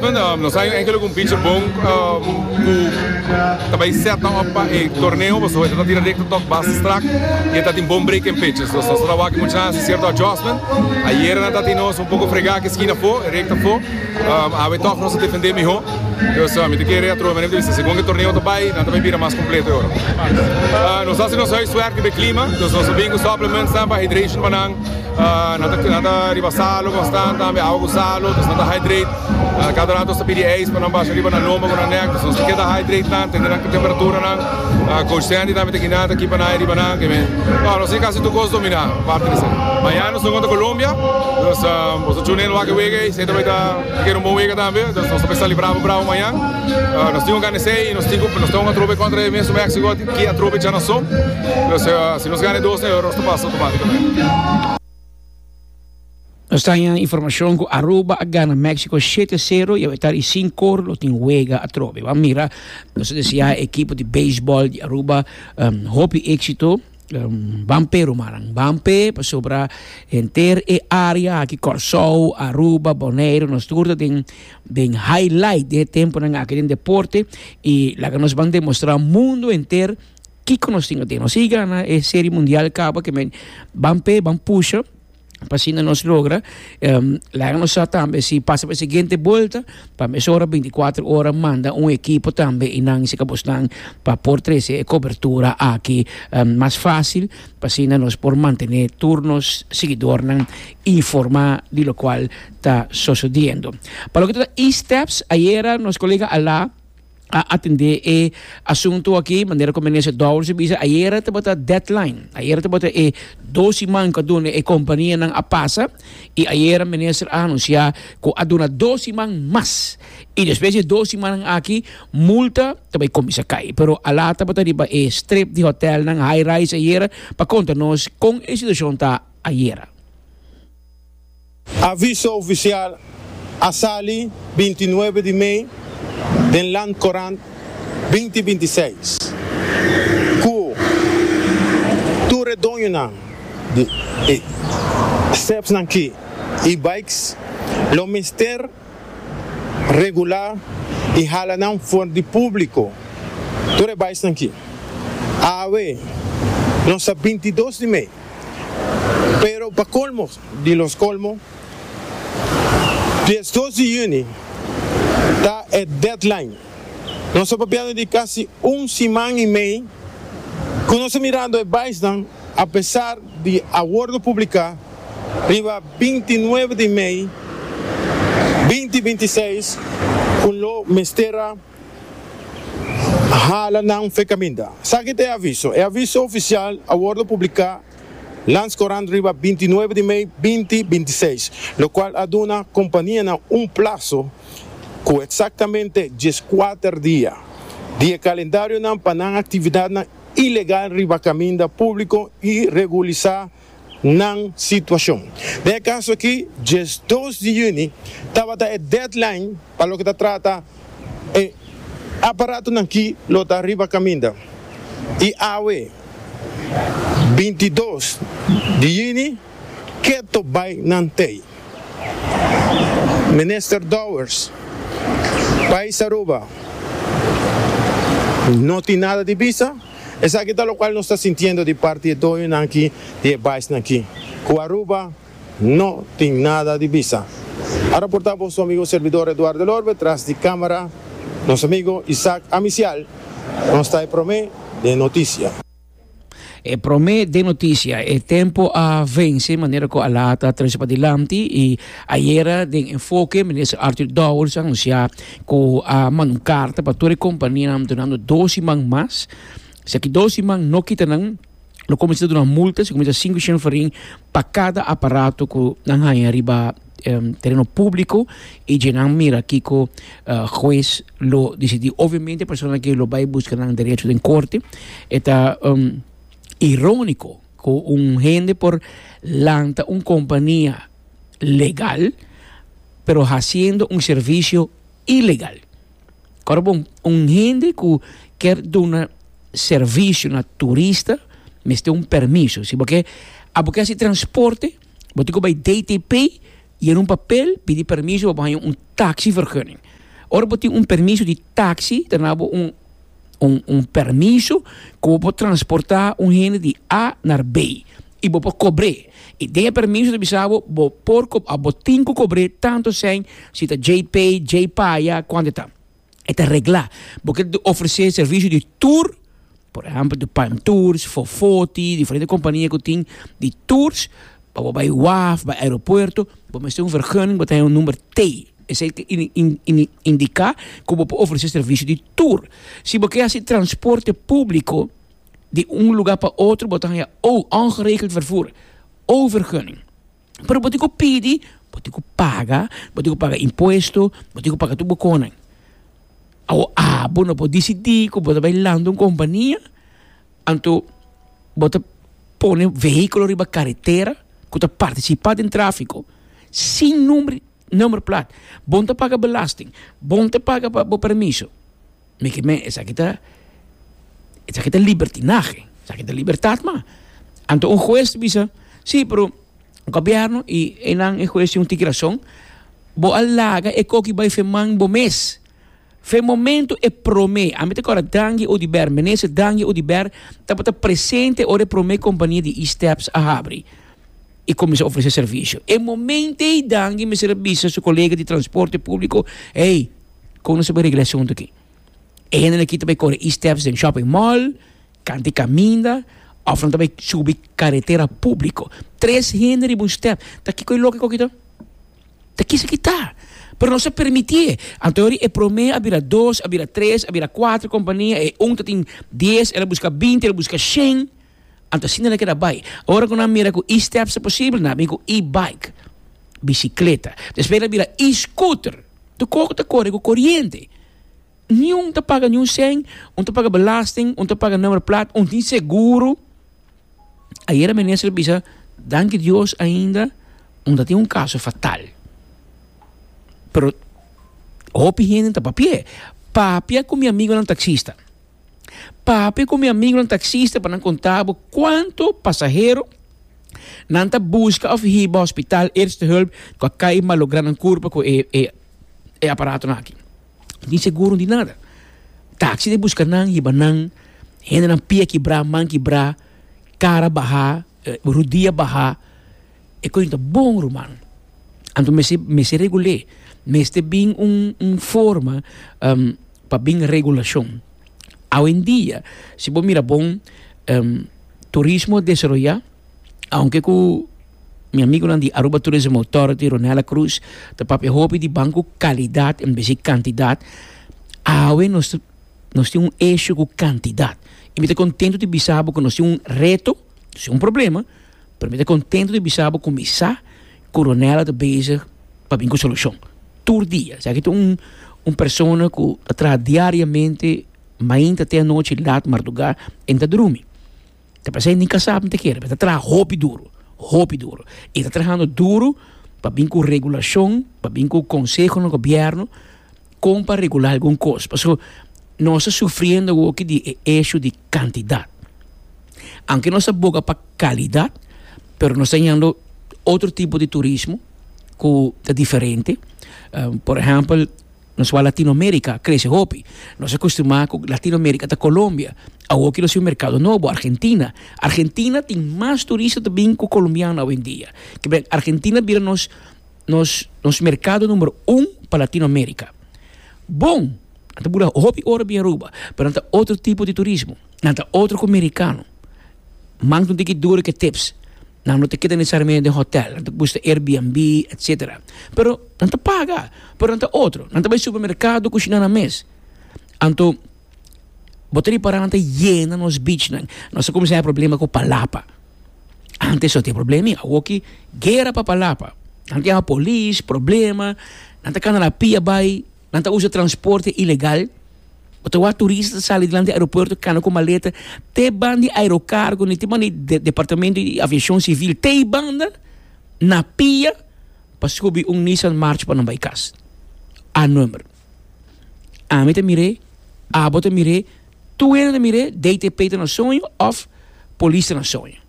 Nos a enke lo ku un pichi bon ku ta bai sèta òf pa e torneo pasobra e ta tira rekta tòg basta strak i e ta tin bon break en pechos. Nos ta wak mucha nan a hasi sierto adjustment. Ayera nan ta tin nos un poko frega aki eskina afó, e rekta afó. Awe tòg nos a defendé mihó. Pues mi ta kere atrobe manera mi ta bisa segun e torneo ta bai nan ta bai bira mas kompleto e ora. Nos a hasi nos huiswerk riba e klima, nos a bin ku supplements pa hydration pa nan. Nan ta riba salu konstant tambe awa ku salu nos nan ta hydrate kada rato nos ta pidi ijs pa nan basha riba nan lomba ku nan nèk nos ta keda hydrate nan tende nan temperatura nan coach Sandy tambe ta kina ta kipa nan ahi riba nan kende no nos tin kasi tur kos domina aparte di esei mañana nos ta jugá kontra Colombia nos ta chunga den wak wega esei ta bai ta ta keda un bon wega tambe nos ta bai celebra brabo brabo mañan nos tin ku gana esei nos tin ku nos ta jugá kontra e mesun Mexico aki ki a tropicha nan son nos si nos gana e dos na e ora nos ta pasa. Nos ta haña informashon ku Aruba a gana Méksiko shete sero i awetar i sin kor lo tin wega atrobe. Bo a mira, nos ta deseá e ekipo di beisbòl di Aruba hopi éksito. Ban p'e rumannan, ban p'e pasobra henter e área aki, Kòrsou, Aruba, Boneiru, nos tur ta den den highlight di e tempunan aki den deporte i laga nos ban demostrá mundu henter. Kiko nos tin aden? Nos higa na e serie mundial kaba ke men ban pe ban pusha pa asina nos logra laga nos sa tambe si pasa pa e siguiente bolta pa mesora binticuatro ora manda un ekipo tambe i nan sika bos nan pa por trese e kobertura aki mas fasil pa asina nos por mantene tur nos siguidornan informá di lokual ta sosodiendo. Pa loke ta e-steps ayera nos kolega Alá. a atendé e asuntu akí, manera ku Minister Dowers a bisa, ayera tabata deadline, ayera tabata e dos siman ku a duna e kompanianan a pasa i ayera Minister a anunsiá ku a duna dos siman mas i despues di e dos simannan akí multa ta bai kuminsá kai. Pero alá tabata riba e strip di hotèlnan high rise ayera pa konta nos kon e situashon ta ayera. Aviso ofisial a sali binti nuebe di mei den Land Courant binti binti seis ku tur e doñonan di e stepsnan ki e-bikes lo mester regulá i hala nan for di públiko. Tur e bikesnan ki awe nos ta binti dos di mei pero pa kolmo. di nos colmo. Diesdos di juni ta e deadline. Nos ta papiando di casi un siman y mei cu nos ta mirando e baisnan apesar di a wordo publica riba binti nuebe di mei binti binti seis cu lo mester a hala nan fe kaminda. Sa ki ta e aviso? E aviso ofisial a wordo publiká lands korant riba binti nuebe di mei binti binti seis, lokual a duna kompanianan un plaso ku eksaktamente dies kuater dia di e kalendarionan pa nan aktividatnan ilegal riba kaminda públiko i regulisá. nan situacion. Den e caso aki, dies dos di juni tabata e deadline pa loke ta trata e aparatonan ki lo ta riba caminda y awe, binti dos di juni, keto bay nan tey. Minister Dowers, Pais Aruba no tin nada di bisa. Esaki ta lokual nos ta sintiendo di parti e doñonan aki di e baisnan aki, ku Aruba no tin nada di bisa. Ara por ta boso amigo Servidor Edouard Delorme, tras di kamera nos amigo Isaac Amisial nos ta e prome den notisia. E prome den notisia, e tempo a vense manera ku a laat a trese pa dilanti i ayera den Enfoke Minister Arthur Dowers a anunsia Ku a manda un karta pa tur e kompanianan dunando dos siman mas. Si aki dos siman no kita nan, lo kuminsá ta duna un multa, si kuminsá sinku shenferin pa kada aparato ku nan haña riba tereno públiko i dje nan mira kiko hues lo disidí. Obviamente e persona aki lo bai buska nan derecho den korte. E ta iróniko ku un hende por lanta un kompania. legal pero hasiendo un servicio ilegal. Ora bo un hende cu kier duna servicio na turista mester un permiso si bo kier a bo kier hasi transporte bo tin cu bay DTP yena un papel pidi permiso pa bo haya un taxivergunning ora bo tin un permiso di taxi ta nabo un un un permiso ku bo por transportá un hende di a na B i bo por kobr'é i den e permiso ta bisa bo bo por a bo tin ku kobr'é tantu sèn si ta djei pei djei paya kuantu ta e ta reglá bo kier ta ofresé servisio di tur por ehèmpel di palm tours fofoti diferente kompania ku tin di tours. Pa bo bai waf, bai aeropuerto, bo mester un vergunning, bo ta haya un number T. Esei ta indica cu bo por ofrece servicio di tour. Si bo kier haci transporte publico di un lugar pa otro, bo ta haya O, ongeregeld vervoer, O vergunning. Pero bo tin cu pidi, bo tin cu paga, bo tin cu paga impuesto, bo tin cu paga tur boconnan. Awor, abo no por dicidi cu bo ta bai lanta un compania. Anto bo ta pone vehiculo riba caretera cu ta participa den trafico sin number plaat, bon ta paga belasting, bon ta paga pa bo permiso, mi ki mei esaki ta libertinahe, esaki ta libertad mah. Anto un huez ta bisa si pero gobierno y einan e huez tin un tiki razon, bo a laga e koki bay feman bo mes. Fe momentu e prome, ami ta kora Dangi Odiber, Minister Dangi Odiber tabata presente ora e prome kompania di E-Steps a habri i kuminsá ofresé servisio. E momento ei Dangi mester a bisa su kolega di transporte públiko, Hey, kon nos ta bai regla e asuntu aki? E hende aki ta bai kore E-Steps den shopping mall, Kantu e kaminda òf nan ta bai subi karetera públiko. Tres hende riba un stèp, ta kiko e loke ku kita? Ta kisa ki ta. Pero nos ta permití e. Anto yori e promé a bira dos, a bira tres, a bira kuater kompania, e un ta tin dies, el a buska binti, el a buska shen. Anto asina nan a keda bai. Ora ku nan mira ku e-stèps ta posibel, nan a bini ku e-baik, bisikleta. Despues nan a bira e-skuter, tu koko ta kore ku koriente. Niun ta paga niun sèn, un ta paga belasting, un ta paga number plat, un tin seguro. Ayera minister a bisa, danki Dios ainda un ta tin un kaso fatal. Pero hopi hende ta papia. Papia ku mi amigonan taksista. Papia ku mi amigonan taksista pa nan konta bo kuantu pasahero nan ta buska òf hiba hospital Eerste Hulp ku a kai malográ nan kurpa ku e e aparatonan aki. tin seguro di nada. Taxi ta buska nan, hiba nan, hendenan pia kibrá, man kibrá, kara bahá, rudia bahá, e kos no ta bon, ruman. Anto mester, mester regul'é, mester bin un, un forma pa bin regulashon. Awendia, si bo mira bon, turismo desaroyá. Aunke ku mi amigunan di Aruba Tourism Authority, Ronella Cruz, ta papia hopi di banku kalidat en bes di kantidat, awe nos ta nos tin un eshio ku kantidat. I mi ta kontentu di bisa bo ku nos tin un reto, nos tin un problema, pero mi ta kontentu di bisa bo ku mi sa ku Ronella ta bezig pa bin ku solushon tur dia. Esaki ta un un persona ku ta traha diariamente mainta te anochi lat marduga e ta drumi. Ta parse e nika sa mita kere, pero ta traha hopi duru, hopi duru. E ta trahando duru pa bin ku regulashon, pa bin ku konseho na gobièrnu kon pa regulá algun kos. Pasobra nos ta sufriendo awoki di e eshu di kantidat. Aunke nos ta boga pa kalidat, pero nos ta yendo otro tipo di turismo ku ta diferente. Por ehèmpel Nos wak Latinoamérica a krese hopi. Nos a kustumá ku Latinoamérica ta Colombia. Awor kilo siñor merkado nobo, Argentina. Argentina tin mas turista ta bin ku kolombiano awendia. Kibera Argentina bira nos nos nos merkado numero un pa Latinoamérica. Bon, nan ta bura hopi ora bin Aruba, pero nan ta otro tipo di turismo. Nan ta otro ku merikano. Mantu tin ki dura ke tips, nan no ta keda nesesariamente den hotel, nan ta buska Airbnb, etcetera. Pero nan ta paga, pero nan ta otro, nan ta bai supermercado kushina nan mes. Anto bo ta repará nan ta yena nos beachnan, nan sa kuminsá haya problema ku palapa. Ante asoteya problema ei, awor ki guera pa palapa. Nan tin haya polis, problema, nan ta kana la pia bai. Nan ta usa transporte ilegal. Bo ta wak turista ta sali dilanti di aeropuerto kana ku maleta te ban di Aerocargo ni te ban di Departamento di Aviacion Civil te e banda na pia pa subi un Nissan March pa nan bai kas. A number. Ami ta mir'é, abo ta mir'é, tur hende ta mir'é, DTP ta na soño òf polis ta na soño.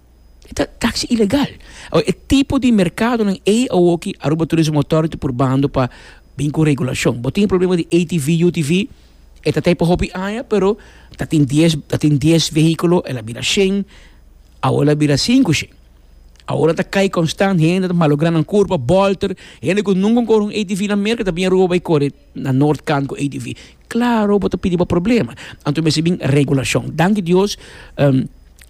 E ta taxi ilegal. Awor e tipo di merkadonan ei awoki Aruba Tourism Authority purbando pa bin ku regulashon. Bo tin e problema di ATV, UTV, e ta ta ei pa hopi aña pero ta tin dies ta tin dies vehíkulo el a bira shen, awor el a bira sinku shen. Awor nan ta kai konstant, hende ta malográ nan kurpa, bòlter, hende ku nunka kore un ATV na Merka ta bin Aruba bai kore na Noord kant ku ATV. Claro bo ta pidi bo problema. Anto mester bin regulacion. Danki Dios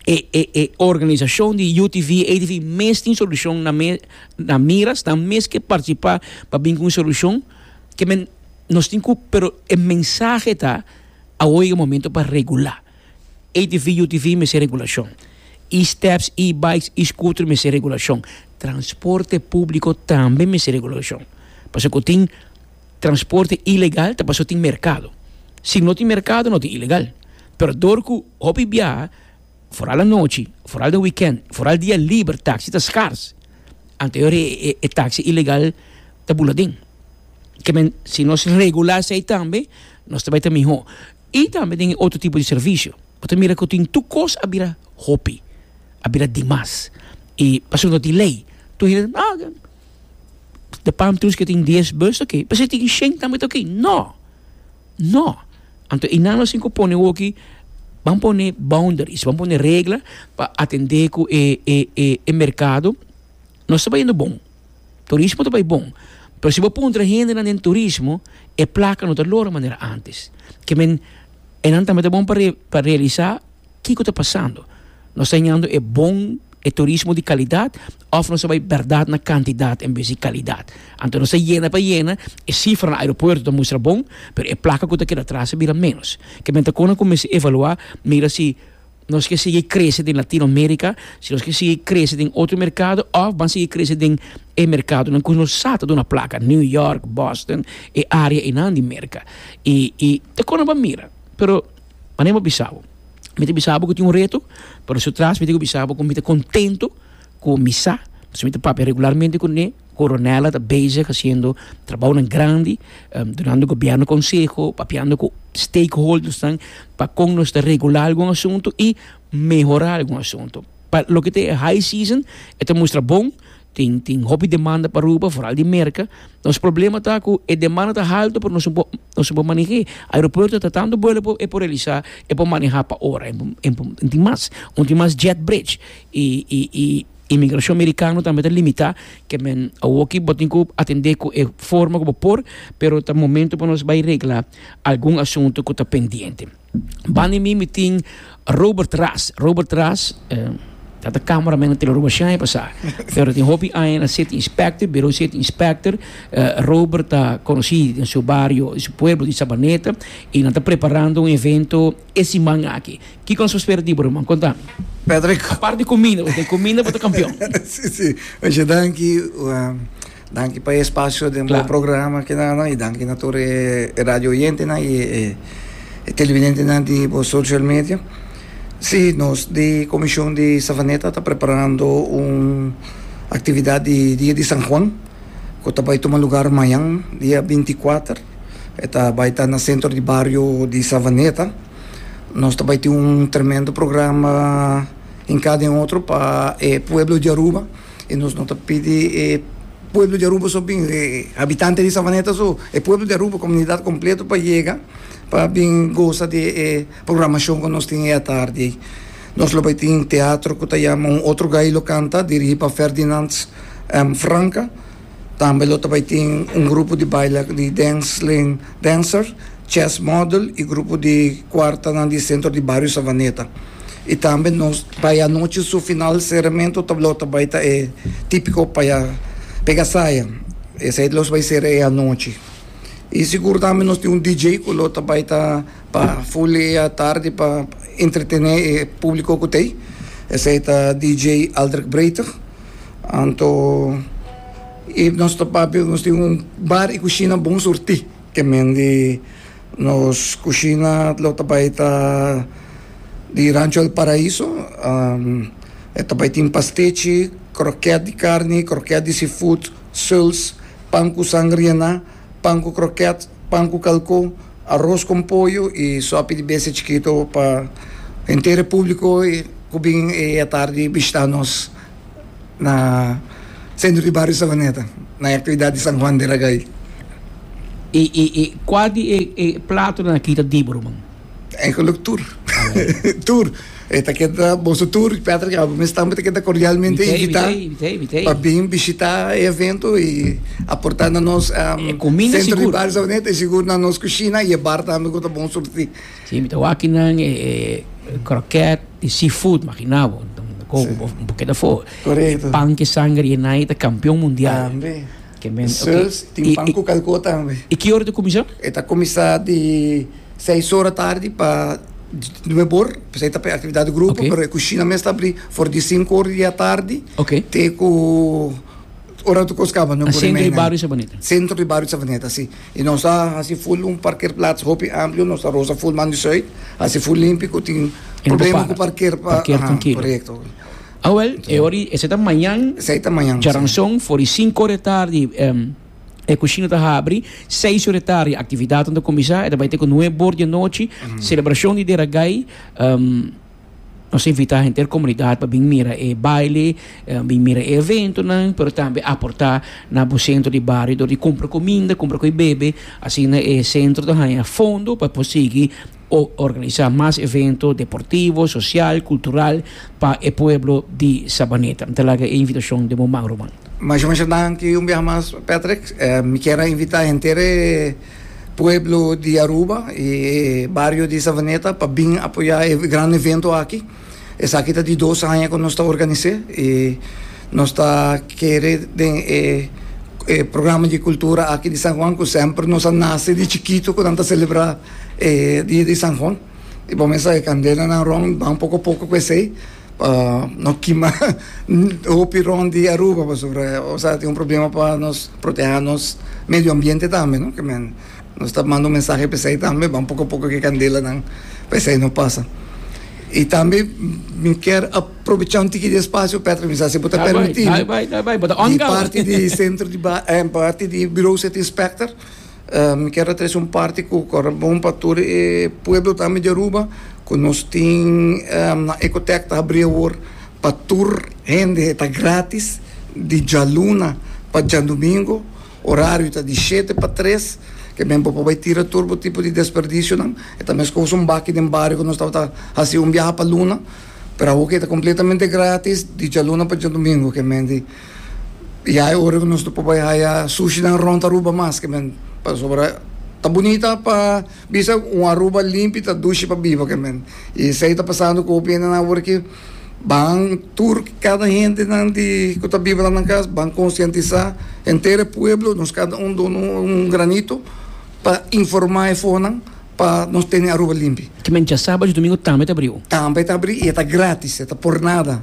e e e organisacion di UTV, ATV mes tin solucion na me na mira snan mes ke participa pa bin cu un solucion ke men nos tin cu pero e mensahe ta awo e momento pa regula. ATV, UTV mester regulacion. E steps, e bikes, e scooter mester regulacion. Transporte publico tambe mester regulacion. Pasobra cu tin Transporte ilegal ta pasobra tin merkado. Si no tin merkado no ta ilegal. Pero dor ku hopi biaha, foral anochi, foral den wikènt, foral dia liber, taksi ta skars, anto e taksi ilegal ta bula aden. Ke men, si nos regulá esei tambe nos ta bai ta mihó. I tambe den e otro tipo di servisio. Bo ta mira ku tin tur kos a bira hopi, a bira di mas. I pasobra no tin lei, tur hende ta, ah. De palm trees ke tin dies bus toki, p'esei tin shen tambe toki? No! No! Anto i nan lo sin ku pone woki, ban pone boundaries, ban pone regla pa atende ku e e e e merkado. Nos ta bai yendo bon, turismo ta bai bon, pero si bo puntra hendenan den turismo e plaka no ta lora manera antes. Ke men, e nan tambe ta bon pa re pa realisa kiko ta pasando. Nos ta heñando e bon, e turismo di kalidat. Òf nos ta bai bèrdat na kantidat en bes di kalidat. Anto nos ta yena pa yena, e sifra na aeropuerto ta mustra bon, pero e plaka ku ta keda atras a bira ménos. Kiman ta kon nan kuminsá evaluá, mira si nos ke sigui krese den Latino Amerika, si nos ke sigui krese den otro merkado òf ban sigui krese den e merkadonan ku nos sa ta duna plaka, New York, Boston, e área einan di Merka. I i ta kon nan bo a mira. Pero manera mi a bisa bo, mi ta bisa bo ku tin un reto, pero su tras mi tin ku bisa bo ku mi ta kontentu. ku misa, pasobra mi ta papia regularmente kuné, koronèl a ta bezig hasiendo trabounan grandi, dunando gobièrnu konseho, papiando ku stakeholdersnan pa kon nos ta regulá algun asuntu i mehorá algun asuntu. Pa loke ta e high season e ta mustra bon, tin tin hopi demanda pa Aruba, foral di Merka. Nos problema ta ku e demanda ta haltu pero nos no por nos no por maneh'é. Aeropuerto ta tantu buelo e por realisá, e por manehá pa ora, tin mas, un tin mas jet bridge. E imigrashon merikano tambe ta limitá ke men awoki bo tin ku atendé ku e forma ku bo por, pero ta momentu pa nos bai regla algun asuntu ku ta pendiente. Banda di mi mi tin Robert Ras. Robert Ras ta ta cameraman na Teleroba shine pasá, pero tin hopi aña na City Inspector, Birou City Inspector. Robert ta konosí den su bario, den su pueblo di Sabaneta i nan ta preparando un evento. E siman aki. Kiko nos por spera di bo ruman? Kontan. Patrick. Apart di kuminda, bo tin kuminda bo ta kampion. Si si oye danki danki pa e espacio den bo programa kenana y danki na tur e radio oyentenan y e televidentenan di bo social media si nos di comision di Savaneta ta preparando un actividad di dia di San Juan cu ta bay tuma lugar mañan dia binti kuater. E ta bai ta na sentro di bario di Savaneta. Nos ta bai tin un tremendo programa hinká den otro pa e pueblo di Aruba. I nos no ta pidi e pueblo di Aruba so bin, e habitante di Savaneta so, e pueblo di Aruba, comunidad completo pa yega pa bin goza di e programashon ku nos tin e atardi ei. Nos lo bai tin teatro ku ta yama Un Otro Gay Lo Canta, dirigí pa Ferdinand Franka. Tambe lo ta bai tin un grupo di baila di Densling Dancer, Chess Model y grupo di cuartanan di Centro di Bario Savaneta. Y tambe nos bai anochi su final cerramento ta lo ta bai ta e tipico paya pega saya. Esey los bai cera e anochi. Y sigur tambe nos tin un DJ cu lo ta bai ta pa full e atardi pa entretene e publico cu ta ey. Esey ta DJ Aldrick Breither. Anto i nos ta papia, nos tin un bar i kushina bon surtí ke men di nos kushina lo ta bai ta di Rancho El Paraíso. E ta bai tin pastechi, krokèt di karni, krokèt di seafood, suls, pan ku sangria na. pan ku krokèt, pan ku kalkó, aros kon poyo i sòpi di bestia chikito pa henter e públiko ku bin e atardi bishitá nos na sentro di bario Savaneta na e aktividat di San Juan de Ragay. I kua di e platonan a kita dibu, ruman? Eigenlijk tur. tur. E ta keda boso tur, Patrick Abel mes tambe ta keda cordialmente Mitei, invita mitei, mitei, mitei. pa bin bishita e evento i aporta na nos um, E comida centro di sigur. Barrio Sabaneta i sigur na nos cucina i e bar tambe ku ta bon surti. Sí, mi ta wak kinan e, e croquet di seafood, magina bo. Ko, Sí. bo, bo keda for. Correcto. Pan ke sanger yenai ta campeon mundial. Tambe. Sels tin pan ku kalkó tambe. I ki ora ta kuminsá? E ta kuminsá di seis ora tardi pa nuebe or, pasobra e ta p'e aktividat di grupo, pero e kushina mes ta abrí for di sinku ora di atardi te ku ora ku nos kaba, nuebe ora i meinan. Sentro di bario Savaneta. Sentro di bario Savaneta, si. I nos a hasi ful un parkerplats hopi amplio, nos ta rosa ful man di sùit, hasi ful limpi ku tin problema ku parker pa, korekto. Awel, e ora di, esei ta mañan. Esei ta mañan, si. Djaranson, for di sinku ora di tardi, e kushina ta habri. Seis ora di tardi, aktividatnan ta kuminsá, e ta bai te ku nueb ora di anochi. Selebrashon di Deragai, nos a invitá henter komunidat pa bin mira e baile, bin mira e eventonan, pero tambe aportá na bo sentro di bario dor di kumpra kuminda, kumpra ku e bebe. Asina e sentro ta haña fondo pa e por sigui. o organisa mas evento deportivo, social, cultural pa e pueblo di Sabaneta. Mi ta laga e invitacion den bo man ruman. Masha masha danki un biaha mas Patrick, mi kier a invita henter e pueblo di Aruba y e bario di Savaneta pa bin apoya e gran evento aki. Esaki ta di dos aña ku nos ta organis'é i nos ta kere den e e programa di kultura aki di San Juan ku semper nos a nase di chikitu ku nan ta selebrá e dia di San Juan i bo mester sa e kandelanan rònt ban poko poko ku esei pa no kima hopi rònt di Aruba pasobra esei ta un problema pa nos proteha nos medio ambiente tambe no. Nos ta manda un mensahe p'esei tambe, ban poko poko ke kandelanan p'esei no pasa. I tambe mi kier aprobecha un tiki di espasio Patrick mi sa si bo ta permiti mi, di parti di sentro di parti di Bureau City Inspector mi kier a trese un parti ku kòrda bon pa tur e pueblo tambe di Aruba ku nos tin nan Ecotech ta habri awor pa tur hende ta gratis di djaluna pa djandumingu. Orario ta di shete pa tres. Ke men bo por bai tira tur bo tipo di desperdicionan. E ta meskos un baki den bario ku nos tabata hasi un biaha pa luna. Pero awo ke ta kompletamente gratis di djalunan pa djadumingu ke men di ya e ora ku nos no por bai haya sushinan rònt Aruba mas ke men pasobra ta bunita pa bisa un Aruba limpi ta dushi pa biba ke men. I esei ta pasando ku hopi hendenan awor aki. Ban tur kada hendenan di ku ta biba la nan kas ban konsientisá henter e pueblo, nos kada un duna un granito pa informá e fonan pa nos tene Aruba limpi. Ki men dja sábado i domingo tambe ta abrí? Tambe ta abrí i e ta grátis, e ta por nada.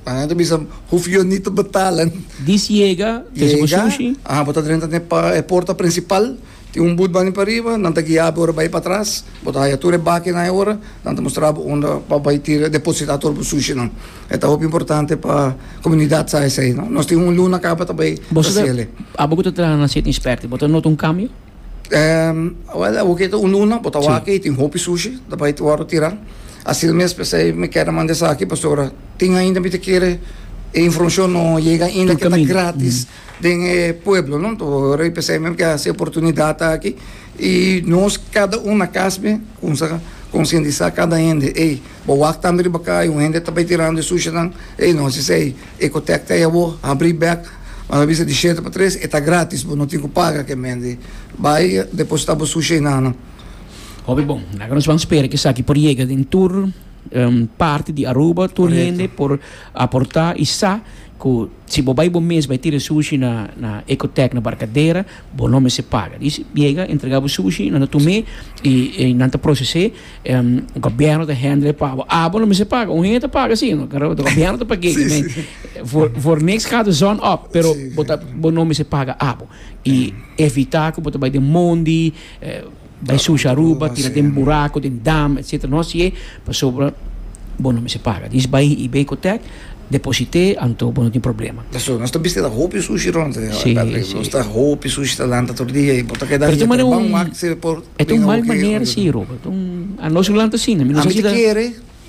Nan a bisa, Hoef yo nit te betalen. Dis yega, trese bo sushi. Yega, bo ta drenta na e porta prinsipal. Tin un but bani pariba, nan ta guia bo ora bai patras, bo ta haya tur e bakinan e ora, nan ta mustra bo unda pa bai tira, deposita tur bo sushinan. E ta hopi importante pa komunidat sa esei, no? Nos tin un luna kaba ta bai Boso ta Brasile. Abo ku ta traha na City Inspector, bo ta nota un kambio? Ehm, wel, awor ke ta un luna, bo ta Si. wak ei, tin hopi sushi ta bai wòrdu tira. Asina mes p'esei mi keda manda esaki, pasobra tin ainda mi ta kere e informashon no yega ainda Tur ke ta kaminda. gratis den e pueblo no to ora p'esei e mim ke hasi e oportunidat aki i nos kada un na kas me kumsa konsientisá kada hende ey bo wak tambe riba kai un hende ta bai tirando e sushinan ey no hasi esei ecotec ta e awo habrí bèk a la bista di shete pa tres e ta grátis bo no tin ku paga ke mende bai depositá bo sushi einan nan. Hopi bon na ke nos ban spera ke esaki por yega den tur parti di Aruba tur hende por aportá i sa ku Si bo bai bo mes bai tira sushi na na Ecotech na Barcadera bo no mester paga. Dici biega entrega bo sushi nan ta tume y y nan ta procese em gobierno ta handle pa bo. Ah bo no mester paga un hende ta paga si no pero ta gobierno ta pag'e si me for for niks gaat de zon op pero bo ta bo no mester paga abo y evita cu bo ta bai den mondi eh. Bay sushi Aruba, tira den buraco, den dam, etcetera. No haci e, pasobra bo no mester paga. Diz bay y bay cu tec, deposite, anto bo no tin problema. Pasobra nos ta bistida hopi sushi rond e. Si, si. Nos ta hopi sushi ta lanta tur dia y bo ta keda riba ta bang wak si e por. E ta un mal manera si, Robert. Anos lo lanta asina. Mi no sa si ta.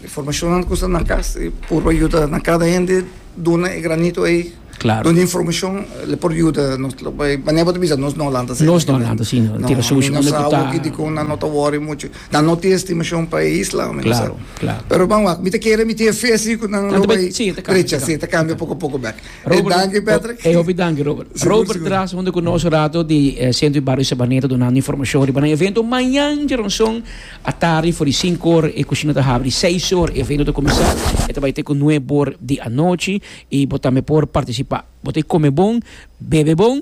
Informashonnan ku sta na kas e por a yuda na kada hende duna e granito ei. Klaro. Duna informashon lo por yuda nos. Lo por manera bo ta bisa nos no Holanda sa. Nos no Holanda si no tira sushi mi no sa awor dikon nan no ta wori muchu. Nan no tin estimacion pa e isla mi no sa. Klaro, klaro. Pero ban wak mi ta kere mi tin fe si ku nan lo bai Si, e ta kambia, e ta recha si kambia. e ta kambia poko a poko bèk. E danki Patrick. E hopi danki Robert. Sigur, Robert sigur. tras hunde ku nos rato di eh, Centro di Barrio Sabaneta dunando informashon riba nan evento mañan dje rònson. Atardi for di sinku or e kushina ta habri di seis or, e evento ta kuminsá e ta bai te ku nueb or di anochi i bo tambe por partisipá. Bo ta kome bon, bebe bon,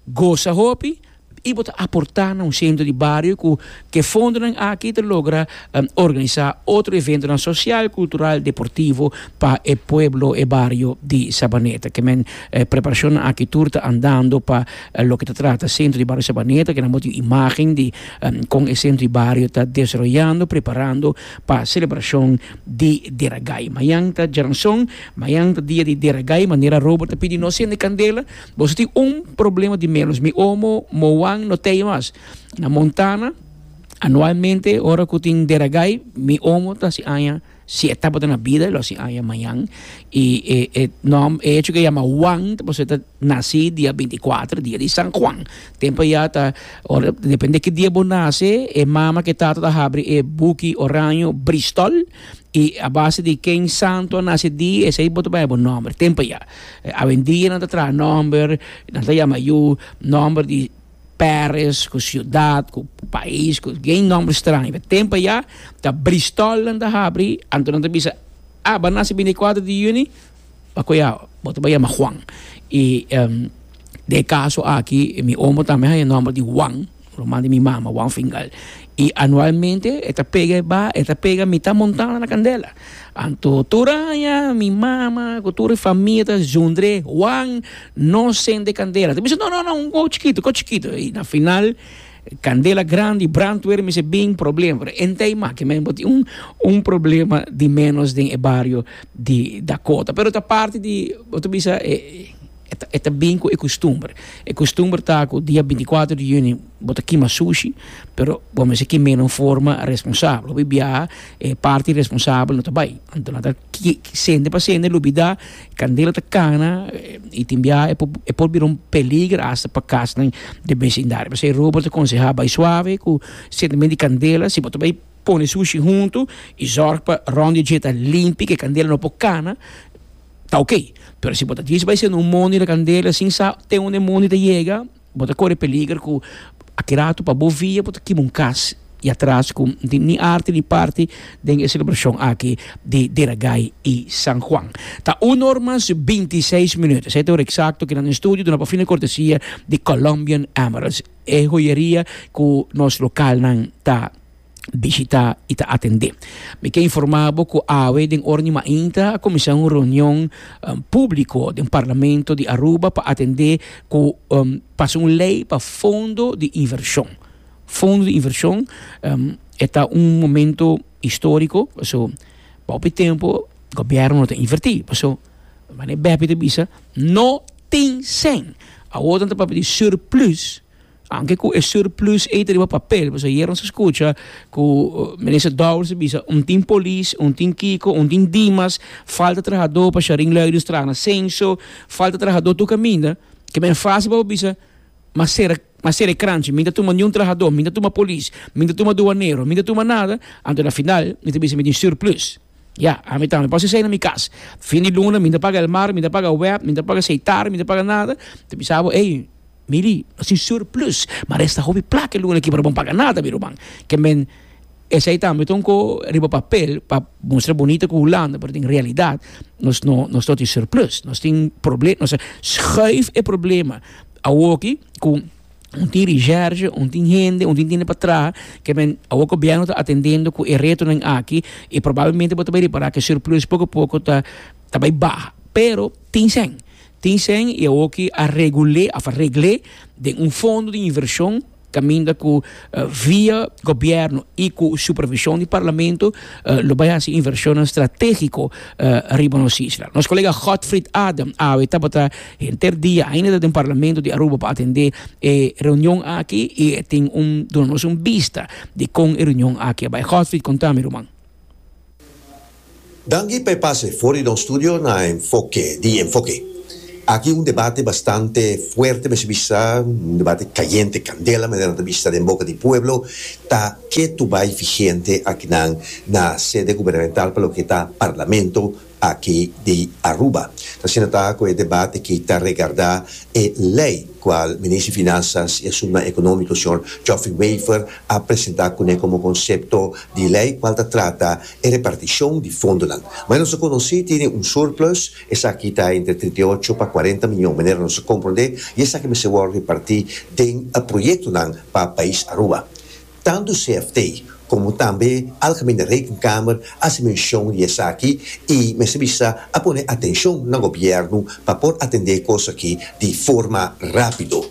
gosa hopi i bo ta aportá na un sentro di bario ku ke fondonan aki ta logra organisá otro eventonan sosial, kultural, deportivo pa e pueblo, e bario di Sabaneta. Ke men preparashonnan aki tur ta andando pa loke ta trata sentro di bario Sabaneta, ke nan bo tin imágen di. Kon esei di bario ta desroyando preparando pa selebrashon di Deragai. Mañan ta Djaranson, mañan ta dia di Deragai, manera Robert ta pidi nos sende kandela. Boso tin un problema di menos, mi omo, Moan, no tei mas. Na Montana, anualmente ora ku tin Deragai mi omo ta hasi aña. Si e tabata na bida, e lo hasi aña mañan. I e e nom, e hecho ku e yama Huan, ta pasobra e ta nasi dia binti kuater, dia di San Huan. Tempu ayá ta, ora, depende ki dia bo nase, e mama ku e tata ta habri e buki oraño bristòl i a base di ken santu a nase e dia, esei bo ta bai bo nòmber, tempu ayá. Awendia nan ta traha nòmber, nan ta yama yu nòmber di. Paris ku siudat ku pais ku gen nòmber straño pa tempu ayá ta Bristòl nan ta habri anto nan ta bisa a bo a nase binti kuater di yüni pa kua bo ta bai yama Juan i den e kaso aki mi omo tambe haña nòmber di Juan ruman di mi mama Juan Fingal. I anualmente e ta pega e ba, e ta pega mita montana na candela. Anto tur aña mi mama cu tur e famia ta zundre, Juan, no sende candela. Ta bisa, No, no, no, un gou chikito, gou chikito. I na final candela grandi, brandweer mi si bin problema. Pero e n'ta e maki men bo tin un problema di menos den e bario di Dakota. Pero ta parti di, bo ta bisa, e. E ta bin ku e kustumber. E kustumber ta ku dia binticuatro di juni bo ta kima sushi, pero bo mester kim'é na un forma responsabel. Hopi biaha e parti responsabel no ta bai. Anto nan ta sende pa sende lubidá, kandela ta kana i tin biaha e por bira un peliger hasta pa kasnan den besindario. P'esei Robert ta konsehá bai suave ku sendemen di kandela. Si bo ta bai pone sushi huntu i zòrg pa rònt di dje ta limpi, ku e kandela no por kana. ta ok, pero si bo ta dies bai sende un mono di kandela sin sa te unde e mono ta yega bo ta kore peliger ku a keda atu pa bo via bo ta kima un kas i atras ku no tin ni arte ni parte den e selebrashon aki di Deragai i San Juan. Ta uno or mas binti i seis minuut, esei ta e ora eksakto ku nan den studio duna pa fina kortesia di Colombian Emeralds, e hoyeria ku nos lokalnan ta bishitá i ta atendé. Mi ke informá bo ku awe den ora di mainta a kuminsá un reunion públiko den Parlamento di Aruba pa atendé ku pasa un lei pa fondo di invershon. Fondo di invershon e ta un momento históriko pasobra pa hopi tempu gobièrnu no ta invertí paso manera bepi ta bisa no tin sen. Awor nan ta papia di surplus. Aunke cu e surplus ey ta riba papel, pasobra ayer nos a scucha cu Minister Dowers a bisa un tin polis, un tin kico, un tin dimas, falta trahador pa Scharinglui di Strana na Censo, falta trahador tur caminda, ke men fasi pa bo bisa mas cera mas cera e cranchi, mi no ta tuma ni un trahador, mi no ta tuma polis, mi no ta tuma douanero, mi no ta tuma nada, anto na final mi ta bisa mi tin surplus. Ya, ami tambe por si sai na mi cas. Fin di luna mi no ta paga el mar, mi no ta paga web, mi no ta paga seitar, mi no ta paga nada. Ta bisa bo, ey, Mili, nos tin surplus, ma resta hopi plata e luna aki pero bo no paga nada, mi ruman. Ke men, esei tambe ta un ko riba papel pa mustra bunito ku Hulanda, pero den realidat nos no, nos no tin surplus. Nos tin proble-, nos a schuif e problema awoki ku. Un tin recherche, un tin hende, un tin tende pa traha, ke men awo gobièrnu ta atendendo ku e retonan aki i probablemente bo ta bai repará ke surplus poko poko ta ta bai baha, pero tin sèn, tin sèn i awoki a regul'é òf a regl'é den un fondo di invershon kaminda ku via gobièrnu i ku supervishon di parlamento lo bai hasi invershonnan stratégiko riba nos isla. Nos kolega Godfrid Adam awe tabata Henter dia ainda ta den Parlamento di Aruba pa atendé e reunion aki i e tin un duna nos un bista di kon e reunion aki a bai. Godfrid, konta mi ruman. Danki pa e pase for di nos studio na Enfoke di Enfoke. Aki un debate bastante fuerte mester bisa, un debate kayente, kandela manera nan ta bisa den boka di pueblo, ta ke tu bai vigente akinan na sede gubernamental pa loke ta Parlamento aki di Aruba. Ta asina ta cu e debat aki ta regarda e ley cual Minister di Finanzas y Asuntunan Economico Señor Geoffrey Wever a presenta cune como concepto di ley cual ta trata e reparticion di fondonan. Manera nos a conoci tene un surplus, esaki ta entre trinta y ocho pa cuarenta miyon manera nos a comprende y esaki mester wor reparti den proyectonan pa pais Aruba. Tantu CFT komo tambe Algemene Rekenkamer a hasi menshon di esaki i mester bisa a pone atenshon na gobièrnu pa por atendé kos aki di forma rápido.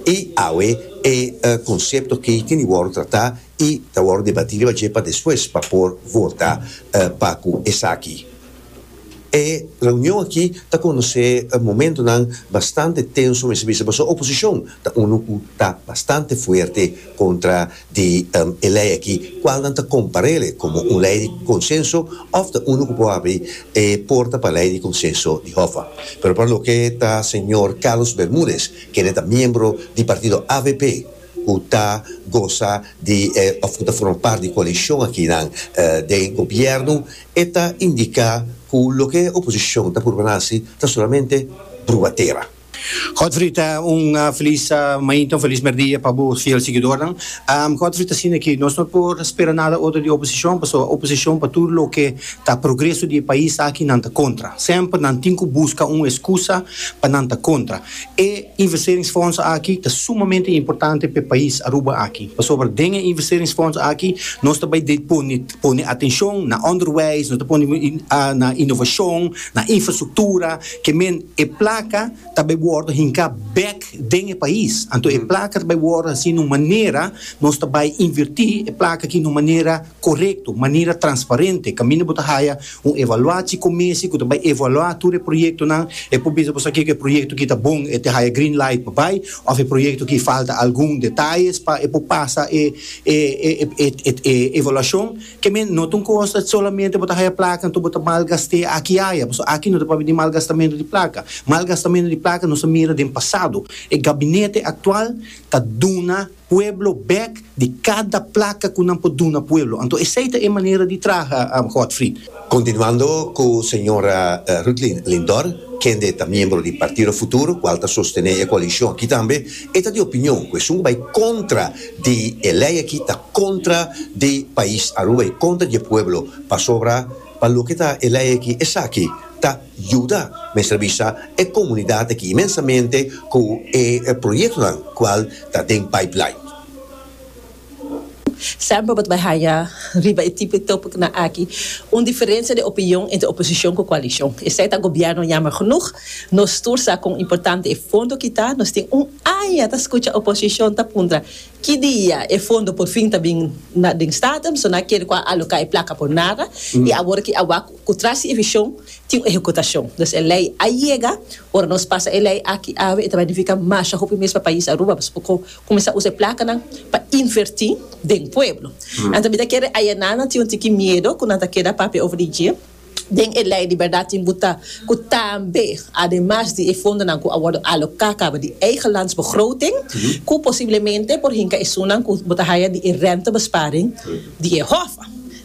I awe e konsepto aki tin di wòrdu tratá i ta wòrdu debatí riba dje pa despues pa por vota pa ku esaki. E reunion aki ta conoce momentonan bastante tenso mester bisa pasobra oposicion ta uno cu ta bastante fuerte contra di e ley aki cual nan ta comparele como un ley di consenso of ta uno cu por habri e porta pa ley di consenso di Hoffa. Pero pa loke ta señor Carlos Bermudez kende ta miembro di partido avp cu ta goza di of cu ta forma part di coalicion aki nan den gobierno E ta indica cu loke e oposicion ta purba haci ta solamente bruatera. Godfrey, Un feliz mainta, un feliz merdia pa bo fiel siguidornan. Godfrey ta siña cu nos no por spera nada otro di oposicion, pasobra oposicion pa tur loke ta progreso di e pais aki nan ta contra. Semper nan tin cu busca un excusa pa nan ta contra. E investeringsfonds aki ta sumamente importante pa e pais Aruba aki, pasobra den e investeringsfonds aki nos ta bay depone. Pone atencion na onderwijs, no ta pone na innovacion, na infrastructura, ke men e placa ta bay wordo hinca bek den e pais. Anto e placa ta bay wordo haci n'un manera, nos ta bay inverti e placa aki n'un manera corecto, manera transparente, caminda bo ta haya Un evaluaci comisie cu ta bay evalua tur e proyectonan, e por bisa boso kico e proyecto ki ta bon e te haya green light pa bay of e proyecto ki falta algun detalles pa e por pasa e e evaluacion, kemen no ta un cosa solamente bo ta haya placa enton bo ta mal gaste aki y aya, boso aki no ta papia di mal gastamento di placa, mal gastamento di placa nos a mira den pasado, e gabinete actual ta duna. pueblo bek di kada plaka ku nan por duna pueblo. Anto esei ta e manera di traha, Godfried. Kontinuando ku señora Ruthlin Lindor, kende ta miembro di Partido Futuro, kual ta sostené e koalishon aki tambe, e ta di opinion ku esun ku bai kontra di e lei aki ta kontra di pais Aruba i kontra di e pueblo, pasobra pa loke ta e lei aki esaki ta. Yuda mester bisa e komunidat aki mensamente ku e proyektonan kual ta den pipeline. Sèmpel bo ta bai haña riba e tipo di tópikonan aki un diferensia di opinion entre oposishon ku koalishon. Esei ta gobièrnu. Yammer genoeg, nos tur sa kon importante e fondo aki ta. Nos tin un aña ta skucha oposishon ta puntra ki dia e fondo por fin ta bin na den Staten. Bo no a kere ku a aloká e plaka por nada i awor aki a wak. Ku tras di e vishon tin un ehekutashon. Dus e lei a yega. Ora nos pasa e lei aki awe e ta benefika masha hopi mes pa pais Aruba. Nos por kuminsá usa e plakanan pa invertí den pueblo. Nan ta mira kere ayanan nan tin un tiki miedu ku nan ta keda papia over di dje. Den e lei di bèrdat tin buta ku tambe ademas di e fondonan ku a wòrdu aloká kaba di eigelandsbegroting ku posiblemente por hinka esunnan ku bo ta haya di e rentebesparing di e hof.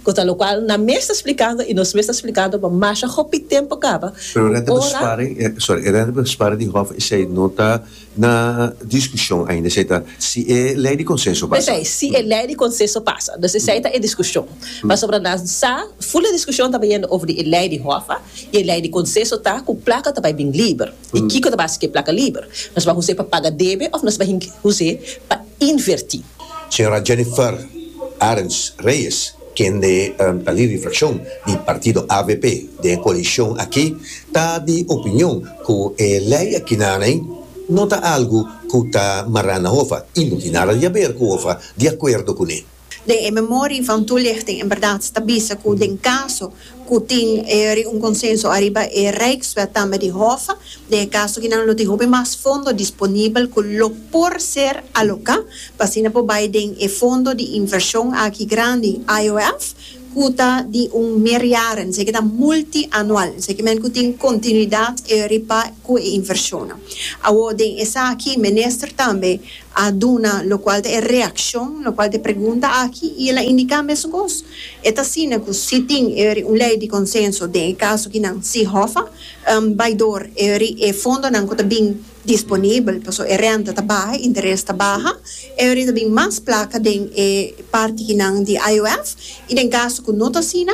Cosa lo cual nan mes ta splicando y nos mes ta splicando, but masha hopi tempo caba Pero e reddebus ora. sparing, eh, sorry, e reddebus sparing di hof esey no ta na discusion ainda, esey ta si e ley di consenso pasa. Esey, si e ley di consenso pasa. Dus esey ta e discusion. Pasobra nan sa, full e discusion ta bay yendo over di e ley di hof, y e ley di consenso ta cu placa ta bay bin liber. I kiko ta base ku e plaka liber? Nos bai us'é pa paga debe òf nos bai us'é pa invertí? Señora Jennifer Arends Reyes, kende ta lid Reflekshon di partido avp den e koalishon aki, ta di opinion ku e lei akinaney no ta algu ku ta mará na hofa i no tin nada di haber ku hofa di akuerdo kuné. Den e memori van toelichting in berdad ta bisa cu den caso cu tin e reunconsenso ariba e Rijkswet tambe di Hof, den e caso aki nan lo tin hopi mas fondo disponibel cu lo por ser aloca pa asina por bay den e fondo di inversion aki grandi IOF cu ta di un meerjaren, esaki ta multianual, esaki men cu tin continuidad riba cu e inversionnan. Awor den esaki Minister tambe. a duna lokual ta e reakshon lokual ta e pregunta aki i el a indiká mesun kos. E ta asina ku si tin eri un lei di konsenso den e kaso ki nan si hòfa bai dor eri e fondonan ku ta bin disponibel pasobra e rènta ta baha, e interes ta baha, eri ta bin mas plaka den e parti ki nan di IOF i den kaso ku no ta asina,